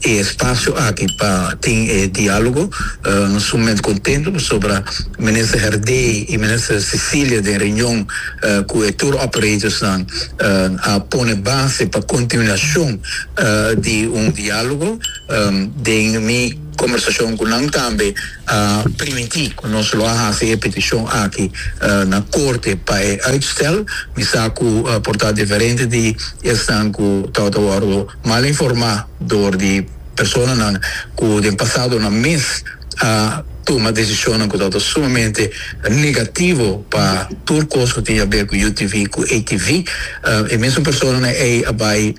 e espasio aki pa tin e dialogo. Nos sumamente contento pasobra Minister Herdey y Minister Cecilia den reunion cu e tour operators nan a pone base pa continuacion di un dialogo. Den mi conversacion cu nan tambe a primiti cu nos lo a haci e peticion aki na Corte pa e uitstel. Mi sa cu por ta diferente di esnan cu tabata wordo mal informá dor di personanan ku den pasado nan mes a tuma desishonnan ku tabata sumamente negativo pa tur kos ku tin haber ku UTV ku ATV. E mesun personanan ei a bai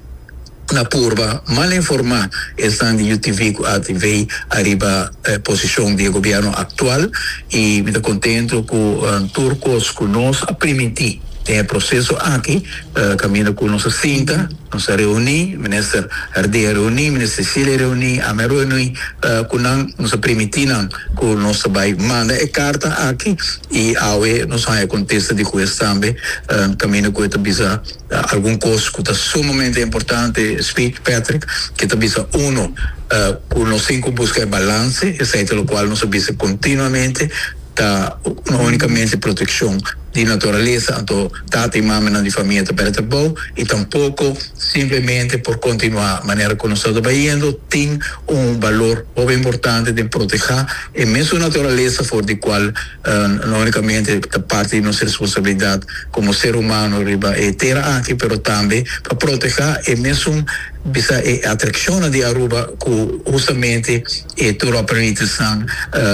na purba mal informá esnan di UTV ku ATV ariba posishon di e gobièrnu aktual i mi ta kontentu ku tur kos ku nos a primintí den e proseso aki, Caminda cu nos a sinta, nos a reuni, Minister Hardy a reuni, Minister Cecilia a reuni, ami a reuni cu nan, nos a primiti nan cu nos ta bay manda e carta aki y awe nos a haya contesta di juez tambe caminda cu e ta bisa algun cos cu ta sumamente importante, speech Patrick, que ta bisa uno cu nos tin cu busca e balance, esey ta locual nos a bisa continuamente ta no unicamente proteccion di naturalesa anto tata i mamanan di famia ta bèta bo i tampoko simplemente por kontinuá manera ku nos ta trabayendo tin un balor hopi importante den protehá e mesun naturalesa for di kual no únikamente ta parti di nos responsabilidat komo ser humano riba e tera aki pero tambe pa protehá e mesun bisa e atrakshonnan di Aruba ku hustamente e tur aprendizanan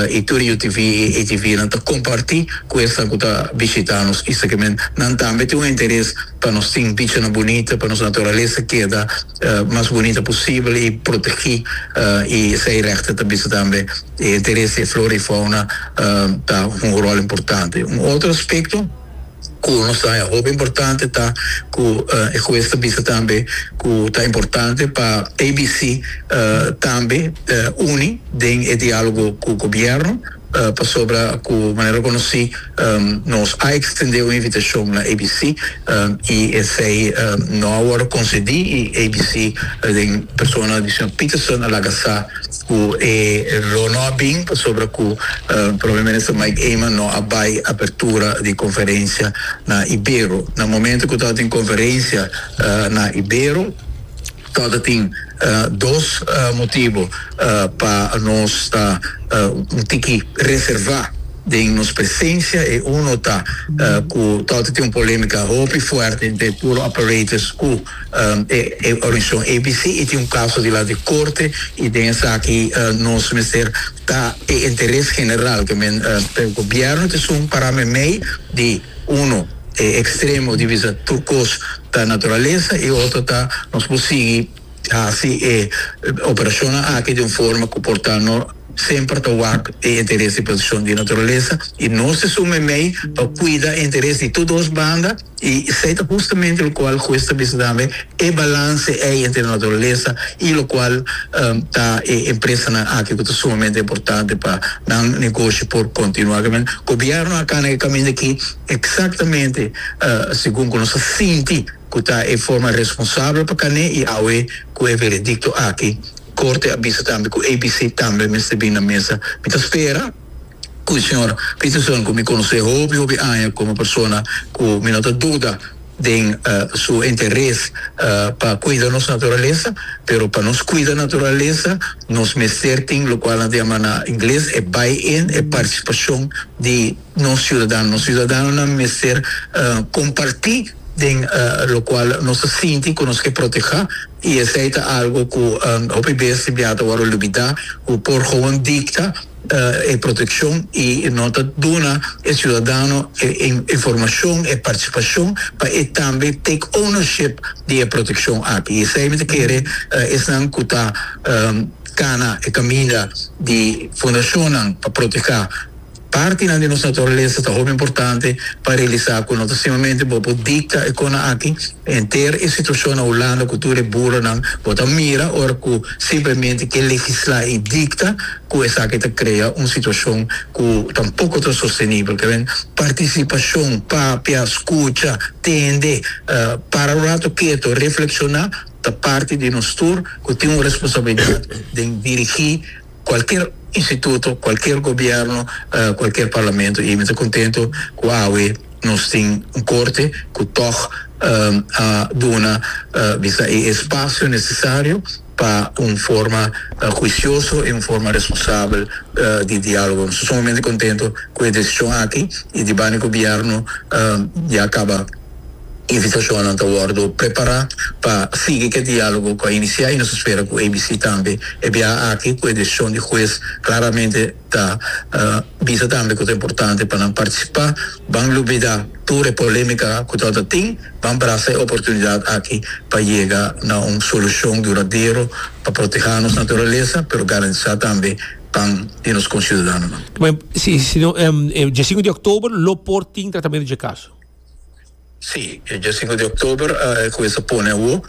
i tur UTV i ATVnan ta kompartí ku esnan ku ta bishitá nos i esaki men nan tambe tin un interes pa nos tin bichanan bunita pa nos naturalesa keda mas bunita posibel i protegí i esei règte ta bisa tambe e interes di e flora i fauna ta hunga ròl importante un otro aspekto. ku nos ta e hopi importante ta ku e hues ta bisa tambe ku ta importante pa ABC tambe uni den e dialogo ku gobierno pasobra ku manera ku nos si nos a extende un invitacion na ABC y esey no a worde concedi y ABC den persona di señor Peterson a laga sa ku e lo no a bin pasobra ku Prome Minister Mike Eman no a bai apertura di konferensia na Ibero. Na momentu ku tabata tin konferensia na Ibero tabata tin dos motibu pa nos ta un tiki reservá den nos presensia. E uno ta ku tabata tin un polémika hopi fuerte entre tur operators ku. e organisacion ABC y tin un caso di lado di corte y den esaki nos mester ta e interes general cu men pero gobierno ta esun para meimei di uno e extremo di bisa tur cos ta naturaleza y otro ta nos por sigui haci e operacionnan aki di un forma cu por ta no semper ta wak e interes di proteccion di naturalesa y nos ta su meimei pa cuida e interes di tur dos banda y esey ta justamente locual Juez ta bisa tambe e balance ey entre naturalesa y locual ta e empresanan aki cu ta sumamente importante pa nan negoshi por continua kimin gobierno a cana e caminda aki exactamente segun cu nos a sinti. ku ta e forma responsabel pa kané i awe ku e veredikto aki Korte a bisa tambe ku ABC tambe mester bin na mesa. Mi ta spera ku e señor Peterson, ku mi konos'é hopi hopi aña komo persona ku mi no ta duda den su interes pa kuida nos naturalesa, pero pa nos kuida naturalesa nos mester tin lokual nan ta yama na ingles e buy-in, e partisipashon di. nos ciudadano. Nos ciudadanonan mester comparti den locual nos ta sinti cu nos ke proteha y esey ta algo cu hopi bes bia ta worde olbida cu por gewoon dicta e proteccion y no ta duna e ciudadano e informacion, e participacion pa e tambe take ownership di e proteccion aki. Esey mi ta kere esnan cu ta cana e caminda di fundacionnan pa proteha. Partinan di nos naturalesa ta hopi importante pa realisá ku no ta simplamente bo por dikta e kona aki. Henter e situashon na Hulanda ku tur e burronan bo ta mira ora ku simplemente ke legislá i dikta ku esaki ta krea un situashon ku tampoko ta sostenibel. Ta bini partisipashon, papia, skucha, tende, para un ratu ketu, reflekshoná ta parti di nos tur ku tin un responsabilidat den dirigí. cualkier instituto, cualkier gobierno, cualkier parlamento y mi ta contento cu awe nos tin un corte cu tog a duna bisa e espacio necesario pa un forma juicioso y un forma responsabel di dialogo. Nos ta sumamente contento cu e decision aki y di banda di gobierno ya caba. Invitacionnan ta wordo prepara pa sigui cu e dialogo cu a inicia y nos a spera cu ABC tambe e biaha aki cu e decision di huez claramente ta bisa tambe cu ta importante pa nan participa. Ban lubida tur e polemica cu ta ota tin, ban brasa e oportunidad aki pa yega na un solucion duradero pa proteha nos naturaleza pero garantisa tambe pan di nos conciudadanonan. Dje sinku di oktober lo por tin tratamento dje kaso. Sí, e dje sinku di oktober e kuminsá pone awo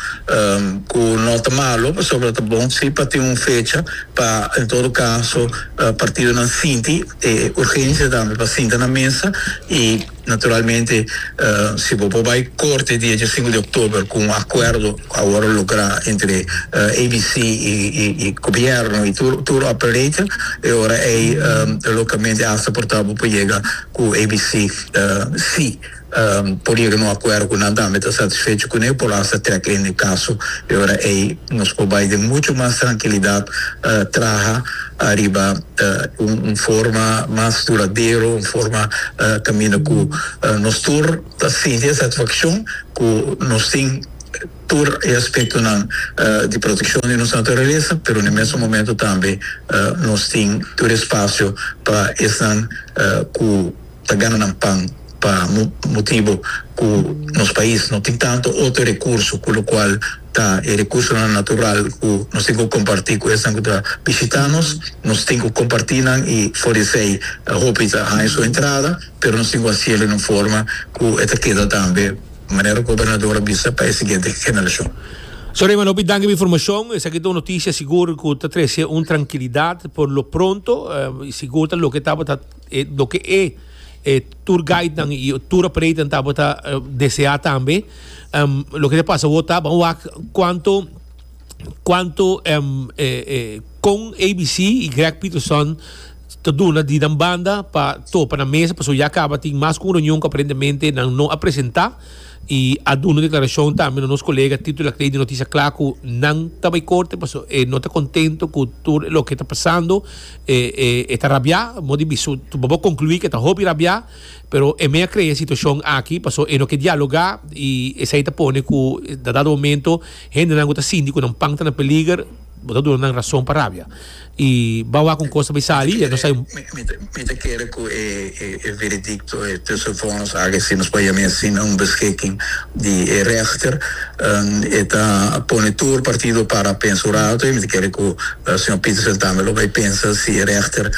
ku no ta malu pasobra ta bon si pa tin un fecha pa en todo kaso partidonan sinti e urgensia tambe pa sinta na mesa i naturalmente si bo por bai korte di e dje sinku di oktober ku un akuerdo awor lográ entre ABC i gobièrnu i tur operator e ora ei lókamente asta por ta bo por yega ku ABC ta si por yega na un akuerdo ku nan tambe ta satisfecho kuné por hasta trèk lende kaso i ora ei nos por bai den muchu mas trankilidat traha ariba un forma mas duradero un forma kaminda ku nos tur ta sinti e satisfakshon ku nos tin tur e aspektonan di protekshon di nos naturalesa, pero na e mesun momentu tambe nos tin tur e spasio pa esnan ku ta gana nan pan pa motibu ku nos pais no tin tantu otro rekurso ku lokual ta e rekursonan natural ku nos tin ku kompartí ku esnan ku ta bishitá nos, nos tin ku kompartí nan i for di esei hopi ta haña su entrada pero nos tin ku hasiel di un forma ku e ta keda tambe. manera gobernador a bisa pa e siguiente generacion. So Reyman hopi danki pa e informacion, esaki ta un noticia sigur cu ta trece un trankilidad por lo pronto y sigur ta loke tabata loke e e tour guidenan y tour operatornan tabata desea tambe loke ta pasa awor ta ban wak cuanto cuanto con ABC y Greg Peterson ta duna di nan banda pa topa na mesa pasobra ya caba tin mas cu un reunion cu aparentemente nan no a presenta y a duna un declaracion tambe nos colega Tito Lacrey di Noticias Clara cu nan ta bay corte pasobra e no ta contento cu tur e loke ta pasando e ta rabia modi bisto bobo conclui cu e ta hopi rabia pero e mey a crea e situacion aki pasobra e no ke dialoga y esey ta pone cu na dado momento Hendenan ku ta sinti ku nan pan ta na peliger, bo ta duna nan rason pa rabia. I ban wak un kos bai sali i e no sai un. Mi ta kere ku e veredikto, e tussenvonnis aki e sinas pa yami asin na un beskiking di e rechter. E ta pone tur partido para pensa un rato i mi ta kere ku señor Petersen tambe lo bai pensa si e rechter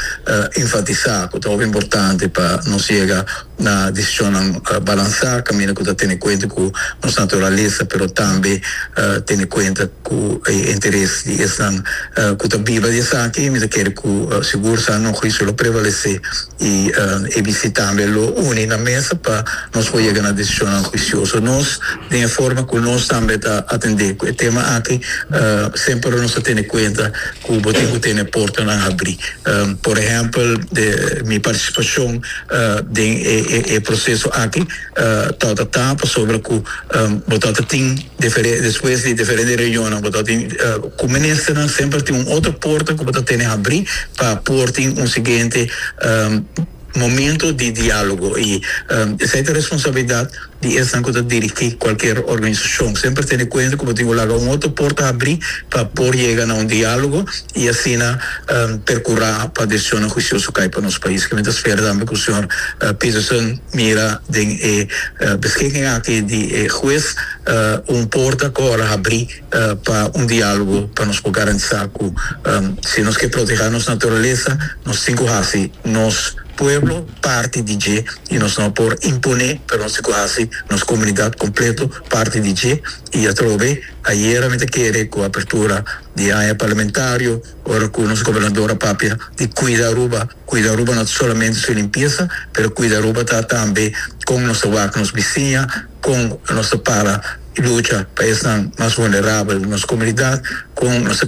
enfatisa ku ta hopi importante pa nos yega na decisionnan balansá kaminda ku ta tene kuenta ku nos naturalesa pero tambe tene kuenta ku e interes di esnan ku ta biba di esaki mi ta kere ku sigur sa no huisio lo prevalesé i abc tambe lo uni na mesa pa nos por yega na decisionnan huisioso nos den e forma ku nos tambe ta atendé ku e tema aki semper nos ta tene kuenta ku bo tin ku tene portanan habrí por ehèmpel mi partisipashon. den e proceso aki ta ta ta pasobra cu bo ta ta tin difere despues di diferente reunionnan bo ta tin cu Ministernan semper tin un otro porta cu bo ta tene habri pa por tin un siguiente momento di dialogo y esey ta responsabilidad di esnan ku ta dirigí kualker organisashon. Semper tene kuenta ku bo tin ku laga un otro porta habrí pa por yega na un diálogo i asina perkurá pa desisionnan huisioso kai pa nos pais. Ke mi ta spera tambe ku señor Peterson mira den e beschiking aki di e hues un porta ku ora habrí pa un diálogo pa nos por garantisá ku si nos ke protehá nos naturalesa nos tin ku hasi nos pueblo, parti di dje y nos no a por imponé pero nos tin cu haci nos comunidad completo parti di dje y atrobe ayera mi ta kere cu apertura di aña parlamentario ora cu nos gobernador a papia di cuida Aruba, cuida Aruba no ta solamente su limpieza pero cuida Aruba ta tambe con nos ta wak nos bisiña, con nos ta para y lucha pa esnan mas vulnerabel di nos comunidad, con nos ta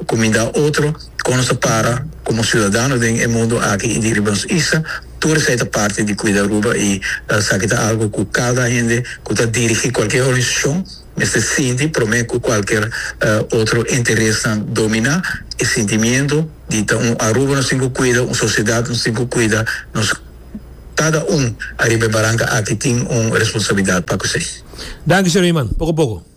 cuminda otro. Kon nos ta para komo siudadano den e mundu aki i di riba nos isla? Tur esei ta parti di kuida Aruba i esaki ta algu ku kada hende ku ta dirigí kualker organisashon mester sinti promé ku kualker otro interesnan dominá e sintimiento di ta un Aruba nos tin ku kuida, un sosiedat nos tin ku kuida. Nos kada un ariba e baranka aki tin un responsabilidat pa ku esei. Danki, señor Iman. Poko poko.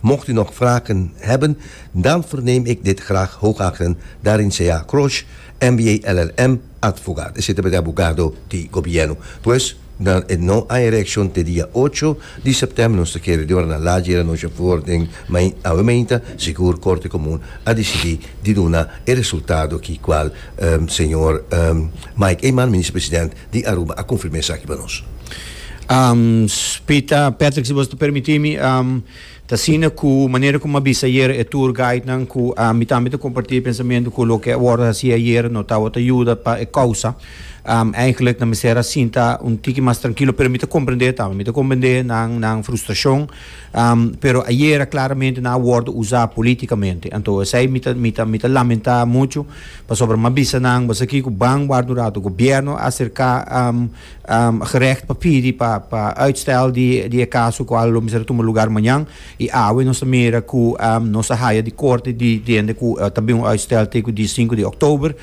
Mocht u nog vragen hebben, dan verneem ik dit graag hoogakeren, daarin sea Crosh, MBA LLM, advogaat. Esei tabata e abogado di Gobierno. Pues, dan e no a e reaccion te dia ocho di september, nos ta kere deorna laat yera anochi voor den main awe mainta, sigur Corte Comun a dicidi di duna e resultado ki cual señor Mike Eman, Minister-President, di Aruba a confirma esaki pa nos. Spita, Patrick si boso ta permiti mi, ta asina cu manera como a bisa ayer e tour guidenan cu mi tambe ta comparti e pensamento cu loke a wordo hasi ayer no tawata yuda pa e causa, eigenlijk nan mester a sinta un tiki mas trankilo pero mi ta comprende tambe, mi ta comprende nan frustracion. Pero ayera claramente nan a wordo usa politicamente. Anto esey mi ta mi ta mi ta lamenta mucho pasobra mi a bisa nan basa kico ban warda un rato gobierno a acerca gerecht pa pidi pa pa uitstel di di e caso cual lo mester a tuma lugar mañan y awe nos ta mira cu nos a haya di corte di hende cu ta bin un uitstel te cu di cinco di october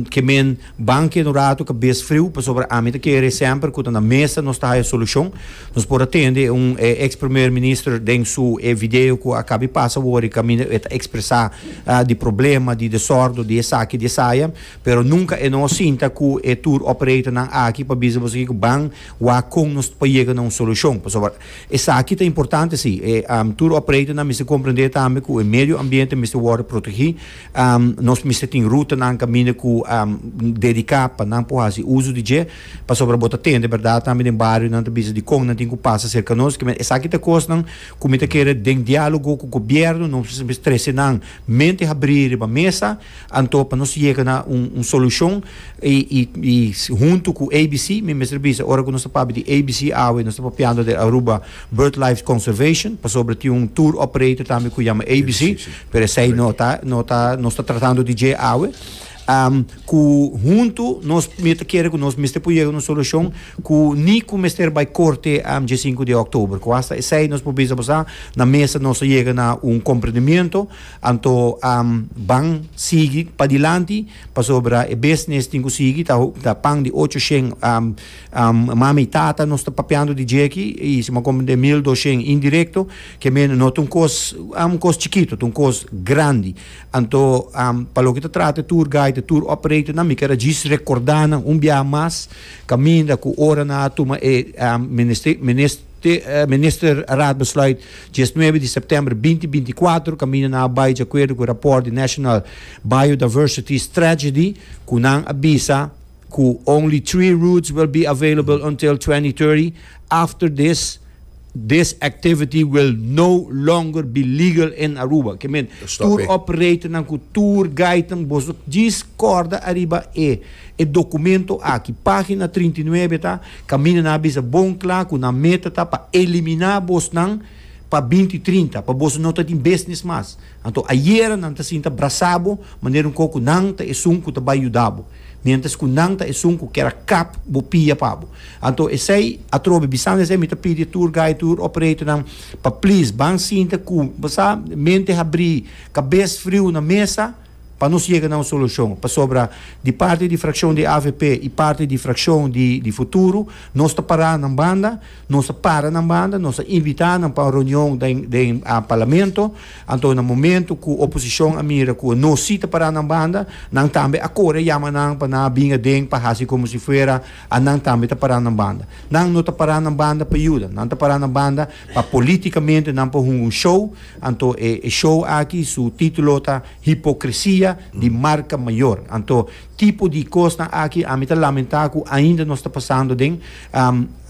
ke men. Ban keda un ratu kabes friu pasobra ami ta kere semper ku ta na mesa nos ta haya solushon. Nos por a tende e un e eks primer minister den su e video ku a kaba di pasa wor i kaminda e ta ekspresá di problema, di desordo, di esaki, di esaya, pero nunka e no a sinta ku e tour operatornan aki pa bisa boso aki ku ban wak kon nos pa yega na un solushon pasobra esaki ta importante si. E tour operatornan mester komprendé tambe ku e medio ambiente mester wòrdu protegí. Nos mester tin rutanan, kaminda ku dediká pa nan por hasi uso di dje, pasobra bo ta tende, bèrdat, tambe den bario nan ta bisa di kon nan tin ku pasa serka nos. Kimente esaki ta kosnan ku mi ta kere den diálogo ku gobièrnu nos mester trese nan mente habrí riba mesa, anto pa nos yega na un solushon i huntu ku ABC mi mester bisa ora ku nos ta papia di ABC awe nos ta papiando di Aruba Birdlife Conservation pasobra tin un tour operator tambe ku yama ABC. pero esey no ta no ta nos ta tratando di dje awe um, ku huntu nos mi ta kere ku nos mester por yega un solucion ku ni ku mester bay korte um, dje 5 de oktober ku hasta esey nos por bisa bosa na mesa nos ta yega na un komprendimiento anto um, ban sigi pa dilanti pasobra e business tin ku sigi ta, ta pan di 8 shen um, um, mami tata nos ta papiando di dje ki i si ma komprende 1200 indirecto Ke mene no ta un kos, un kos chikito, ta un kos grandi. Anto, pa loke ta trata e tour guide, e tour operator nan, mi keda djis rekorda nan un biaha mas, kaminda ku ora nan a tuma e Minister Raad Besluit diesnuebe di Sèptèmber binti binti kuater, kaminda nan a bai diakuerdo ku e rapòrt di National Biodiversity Strategy, ku nan a bisa. Cu only three routes will be available until twenty thirty, after this, this activity will no longer be legal in Aruba. Ke mean, tour operatornan cu tour guidenan boso djis corda ariba e e documento aki. Pagina trinta i nuebe ta, Caminda nan a bisa bon cla cu nan meta ta pa elimina bosnan pa binti trinta, pa boso no ta tin business mas. Anto ayera nan ta sinta brasa bo manera un koko nan ta esun ku ta bai yuda bo, mientras ku nan ta esun ku kera kap bo pia pa bo. Anto esei atrobe bisando esei mi ta pidi tur guy tur operator nan pa please ban sinta ku bo sa mente habri kabes friu na mesa pa nos yega na un solushon pasobra di parti di frakshon di avp i parti di frakshon di futuro nos ta para nan banda Nos a para nan banda, nos a invitá nan pa un reunion den, den Parlamento. Anto na momento ku oposishon a mira ku nos si ta pará nan banda, nan tambe a kore a yama nan pa nan a bin aden pa hasi komo si fuera a nan tambe ta pará nan banda. Nan no ta pará nan banda pa yuda, nan ta pará nan banda pa polítikamente nan por hunga un show. Anto e, e show aki su título ta Hipokresia di marka mayor. Anto, tipo di kosnan aki ami ta lamentá ku ainda nos ta pasando den.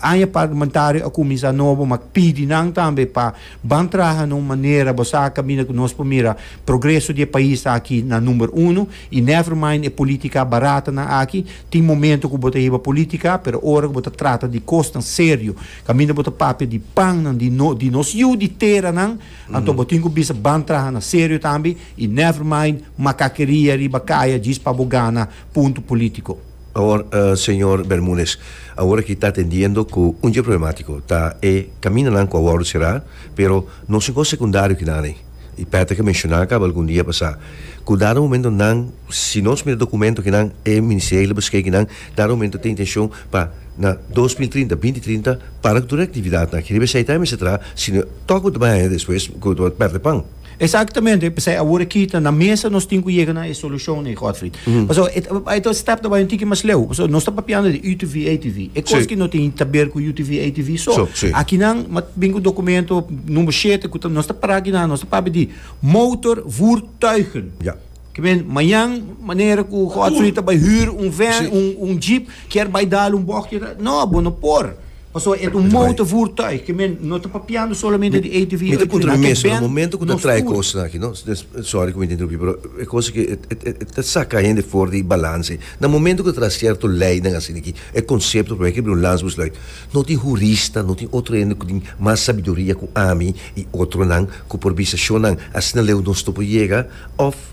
Aña Parlamentario a kuminsá nobo, ma pidi nan tambe pa ban traha na un manera bo sa kaminda ku nos por mira progreso di e pais aki na number uno i never mind e politika baratanan aki. Tin momento ku bo ta hiba politika, pero ora ku bo ta trata di kosnan serio kaminda bo ta papia di pannan di no di nos yu di teranan anto bo tin ku bisa ban traha na serio tambe i never mind makakeria riba kaya djis pa bo gana punto politiko. Awor, señor Bermúdez, awor aki ta atendiendo cu un dje problemático ta e caminanan cu a wordo cerá, pero no sin cos secundario ki nan ei. Y Patrick a menciona caba algun dia pasá cu dado momento nan, si nos mira documento ki nan e Ministerio di Liberschaik di nan dado momento ta intencion pa na dos mil trinta, binti trinta, para cu tur e actividadnan aki riba esei ta a mester traha, sino tok bo ta bay aña despues cu bo ta perde pan. Exactamente, p'esei awor aki ta na mesa nos tin cu yega na e solucion ei, Godfried. Pasobra e ta, ai ta un step debai un tiki mas leu. Pasobra nos ta papiando di UTV, ATV. E cos Sí. ki no tin ta ber cu UTV, ATV so. So, sí. Aki nan ma bin cu documento number shete cu ta, nos ta para aki nan, nos ta papia di motorvoertuigen. Ja. Kiben, mañan manera ku Godfrey ta bai hür un vèn, un un jeep, kier bai dal un bòkje ta, no, bo no por. Pasobra e ta un mouta vurtuig, kiben, no ta papiando solamente di ATV o Mi ta puntra mi mes, na momento ku ta trae e kosnan aki, no, sòri ku mi ta interumpí, pero e kos aki e ta saka hende for di balans. Na momento ku ta traha sierto leinan asina aki, e konsepto promé ke bira un lans buslei. No tin hurista, no tin otro hende ku tin mas sabiduria ku ami i otronan ku por bisa shonnan asina leu nos no por yega, òf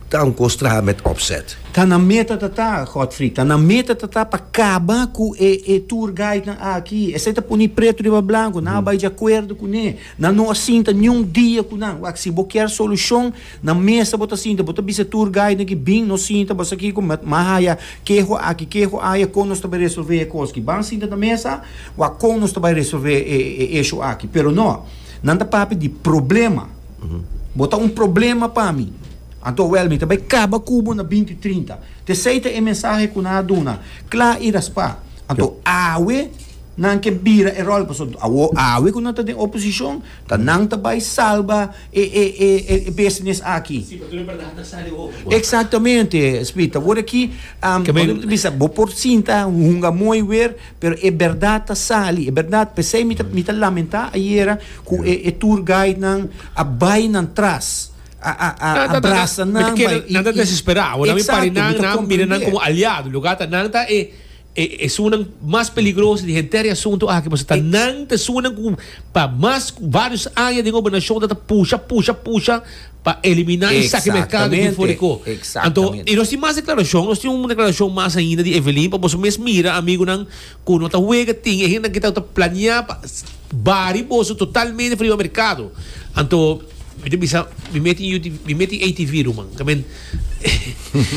ta un kos traha mèt òpsèt. Ta nan meta ta ta, Godfrey, ta nan meta ta ta pa kaba ku e e tour guidenan aki. Esei ta puni pretu riba blanku, nan a bai di akuerdo kuné. Nan no a sinta niun dia ku nan. Wak, si bo kier solushon. Na mesa bo ta sinta, bo ta bisa tur guide nan ki bin nos sinta, bo sa kiko, met ma haya keho aki, keho aya, kon nos ta bai resolve e kos aki. Ban sinta na mesa, wak kon nos ta bai resolve e issue aki. Pero no, nan ta papia di problema. Bo ta un problema pa mi. Anto wel, mi ta bai kaba ku bo na binti trinta. Tesei ta e mensahe ku nan a duna, kla i raspa. Anto awe nan ke bira e rol, pasobra awe ku nan ta den oposishon, Ta nan ta bai salba e e e e e business aki. Si, pa tur e bardad ta sali hopi kontra. Exactamente, Smith. Awor aki, am, Ke bai- bo bisa bo por sinta hunga mooi weer, pero e berdad ta sali, e berdad. Pesey mi ta mi ta lamenta ayera ku e e tour guide nan a bai nan tras, a a a Nan ta- brasa nan, nan ta- bai, nan ta desespera. Awor nan mi pari nan, nan mira nan komo aliado. Lo ku a ta nan ta e. E esunnan mas peligroso di henter e asuntu aki pasobra ta nan ta esunnan ku pa mas ku vários aña den gobernashon nan ta pusha pusha pusha pa eliminá i saki merkado aki for di ko. Anto i nos tin mas deklarashon, nos tin un deklarashon mas ainda di Evelyn pa boso mes mira amigunan ku no ta wega tin e hendenan ku ta planeá pa bari boso totalmente for riba merkado. Anto mi ta bisa mi meti mi meti ATV ruman.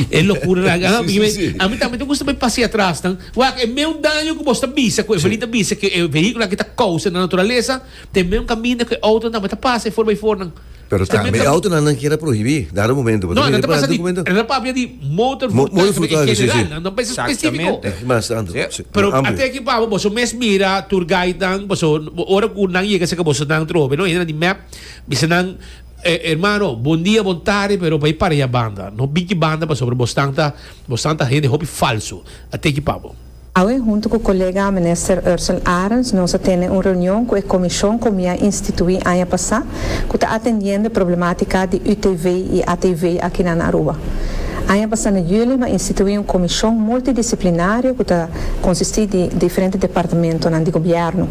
E locura nan a mi me a mi tambe ta gusta bay pasea tras nan wak e meun daño cu bosta bisa cu e Evelyn ta bisa cu e vehiculo aki ta causa na naturaleza ta e meun caminda cu e auto nan tambe ta pasa e for bay for nan Pero ta tambe e auto nan nan kier a prohibi dado momento bo ta no nan mira ta pa pasa di documento nan ta papia di motor Mo- voertuig motor tambe en voertuig, si, si. general nan no pensa specifico Exactamente. Mas tanto, Yep. sí, pero amplio. ate aki pabo boso mes mira tour guide nan boso ora cu nan yega cerca boso nan trobe no e nan di map bisa nan Hermano, bon dia, bon tarde, pero pa e parea banda, no biki banda pasobra bosnan ta, bosnan ta hende hopi falso. A teki pa bo. Awe huntu ku kolega Minister Ursel Arends nos a tene un reunion ku e komishon ku mi a instituí aña pasá ku ta atendiendo e problematika di UTV i ATV akinan na Aruba. Aña pasá na Juli mi a instituí un komishon multidisiplinario ku ta konsistí di diferente departamentonan di gobièrnu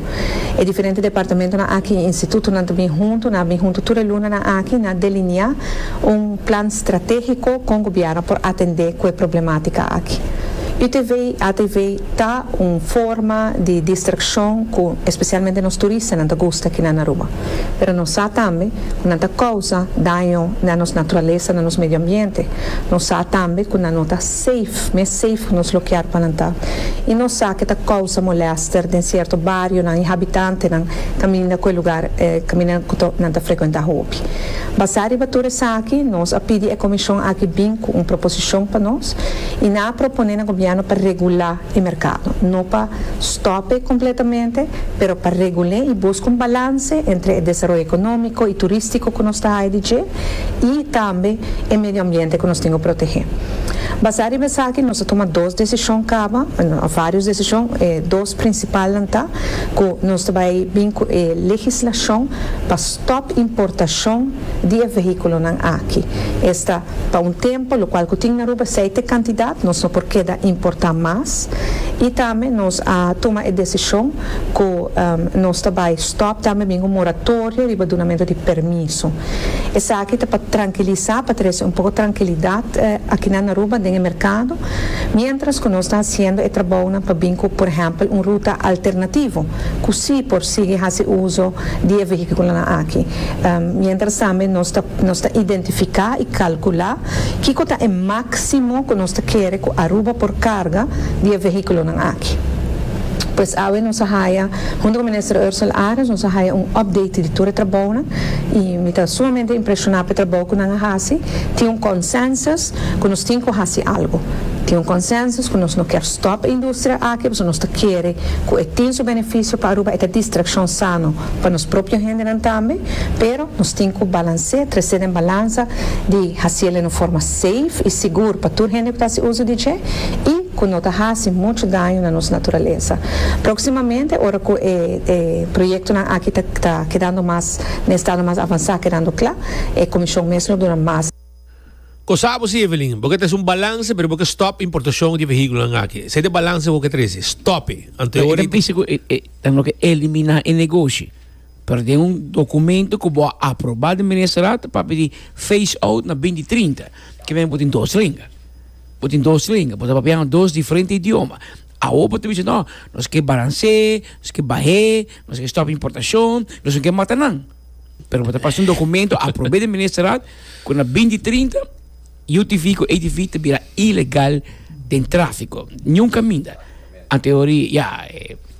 E diferente departamentonan aki i institutonan ta bin huntu, nan a bin huntu tur e lunanan aki, nan a deliniá un plan stratégiko kon gobièrnu por atendé ku e problemátika aki. UTV, ATV, ta un forma di distrakshon ku espesialmente nos turistanan ta gusta kinan na Aruba, pero nos sa tambe ku nan ta kousa daño na nos naturalesa, na nos medioambiente, nos sa tambe ku nan no ta. Safe, mes safe cu nos lo kier pa nan ta. Y nos sa cu e ta causa molester den cierto barionan y habitantenan caminda cu e lugar, e caminda cu nan ta frecuenta hopi. Basa riba tur esaki, nos a pidi e comision aki bin cu un proposicion pa nos y nan a propone na gobierno pa regula e mercado, no pa stope completamente, pero pa regul'e y busca un balance entre e desaroyo economico y turistico cu nos ta haya di dje. i tambe e medio ambiente ku nos tin ku protehé. Basá riba esaki nos a tuma dos desishon kaba, òf vários desishon, e dos prinsipalnan ta ku nos ta bai bin ku e legislashon pa stòp importashon di e vehíkulonan aki. Esta pa un tempu lokual ku tin na Aruba esei ta e kantidat, nos no por keda importá mas i tambe nos a tuma e desishon cu nos ta bay stop tambe bin un moratorio riba dunamento di permiso. Esaki ta pa trankilisa, pa trece un poco trankilidad akinan na Aruba den e mercado, mientras cu nos ta haciendo e trabounan pa bin cu por ehempel un ruta alternativo cu si por sigui haci uzo di e vehiculonan aki. Mientras tambe nos ta nos ta identifica y calcula kico ta e maximo cu nos ta kere cu Aruba por carga di e vehiculonan aki. Pues awe nos a haya, hunto cu Minister Ursel Arens, nos a haya un update di tur e trabounan y mi ta sumamente impresiona p'e trabou cu nan a haci. Tin un consensus cu nos tin cu haci algo. Tin un consensus cu nos no kier stop e industria aki pasobra nos ta kere cu e tin su beneficio pa Aruba, e ta distraccion sano pa nos propio hendenan tambe, pero nos tin cu balancé, trecé den balanza di haciel den un forma. safe y sigur pa tur hende cu ta haci uso di dje y cu no ta haci mucho daño na nos naturaleza. Proximamente ora cu e e proyectonan aki ta ta kedando mas na estado mas avansa kedando cla e comision mes lo duna mas. Cosa abo si Evelyn, bo ke trece un balance pero bo ke stop importacion di vehiculonan aki. Esei ta e balance cu bo ke trece. Stope! Anto e ora di. Lo ke ta bisa cu e e ta lo ke elimina e negoshi. Pero den un documento cu bo a aproba den Ministerraad papia di phase out na binti trinta, que mester bo tin dos lenga. Bo tin dos lenga, bo ta papiando dos diferente idioma. Awo bo ta bisa no, nos ke balans'é, nos ke bah'é, nos ke stop importacion, nos no ke mata nan. Pero bo ta pasa un documento aprob'é den Ministerraad cu na binti trinta UTV cu ATV ta bira ilegal den trafico. Niun caminda anto e ora di ya.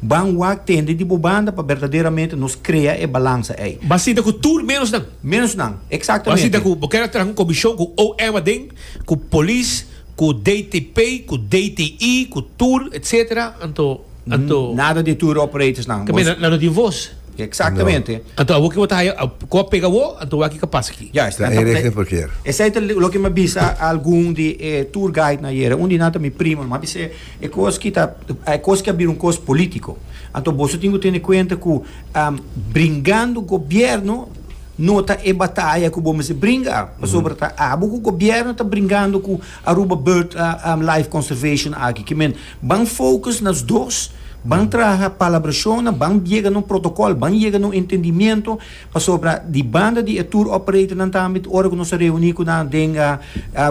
Ban wak tende di bo banda pa berdaderamente nos krea e balansa ei. Ban sinta ku tur menos nan. Menos nan, eksaktemente. Ban sinta ku bo keda traha ku komishon, ku OM aden, ku polis, ku DTP, ku DTI, ku tur, etsetera, anto, anto. Nada di tur operators nan. Ta mira, nan no tin vos. Eksaktemente. Anto awor ke bo ta haya, ku a pega bo, anto wak i ka pasa aki. Juist. Ta e regla por kier. Esei ta loke mi a bisa algun di e tur guide nan ayera. Un di nan ta mi primo, mi a bisa e. E kos ki ta e kos ki a bira un kos politico anto boso tin ku tene kuenta ku bringando gobierno no ta e bataya ku bo mester bringa pasobra ta abo ku gobierno ta bringando ku Aruba bird life conservation aki ki men ban focus nos dos ban traha palabrashon nan ban yega na un protocol ban yega na un entendimiento Pasobra di banda di e tour operatornan tambe ta ora ku nos a reuní ku nan den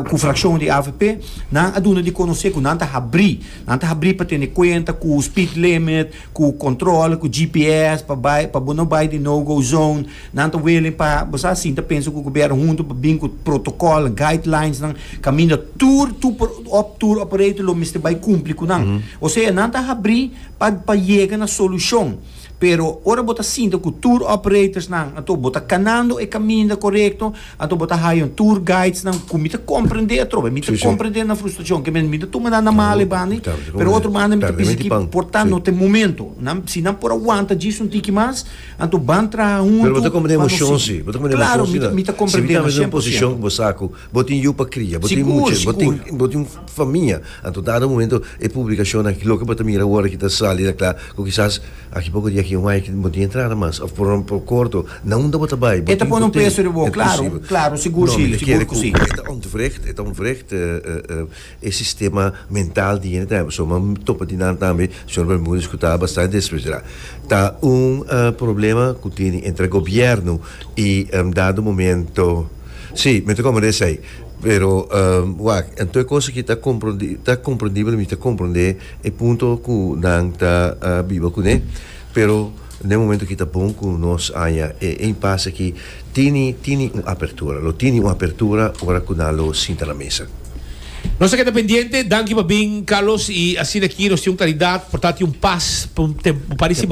ku frakshon di avp, nan a duna di konosé ku nan ta habrí, nan ta habrí pa tene kuenta ku speed limit, ku kontrole, ku GPS pa bai pa bo no bai den no go zone. Nan ta willing pa bo sa asin ta pensa ku gobièrnu huntu pa bin ku protokòlnan, guidelinesnan kaminda tur tour operator lo mester bai kumpli ku nan. Osea nan ta habrí pa pa yega na solushon. Pero ora bo ta sinta cu tour operatorsnan anto bo ta canando e caminda corecto, anto bo ta haya un tour guidesnan cu mi ta comprende atrobe, mi ta comprende nan frustracion, que mi no tuma nan na mal ebandi, pero otro banda mi ta bisa ki por ta no ta e momento, nan, si nan por aguanta djis un tiki mas, anto ban traha hunto pa no sigui. Claro, mi ta, mi ta comprende nan cien por ciento. Sigur! Fa mia, anto dado momento e publicacionnan loke bo ta mira awor aki ta sali ta cla cu kisas aki poco di aki un aña aki bo tin entrada mas of por lo corto na unda bo ta bay bo tin cu tin. E ta pone un peso riba bo, claro, claro, sigur si, sigur cu si. No, mi ta kere cu e ta ontwricht, e ta ontwricht e sistema mental di hende ta hebe so, ma mi topa di nan tambe, señor Bermudez, cu ta bastante desesperá. Ta un problema cu tin entre gobierno y dado momento, si, mi ta comenta esey. Pero, wak, anto e kos aki ta komprondí, ta komprondibel, mi ta komprondé e punto ku nan ta biba kuné, pero na e momento aki ta bon ku nos haña e impasse aki tini, tini un apertura, lo tini un apertura ora ku nan lo sinta na mesa. Nos ta keda pendiente. Danki pa bin, Carlos. I asina aki nos tin un kalidat, portanti un pas pa un tem, un par di siman.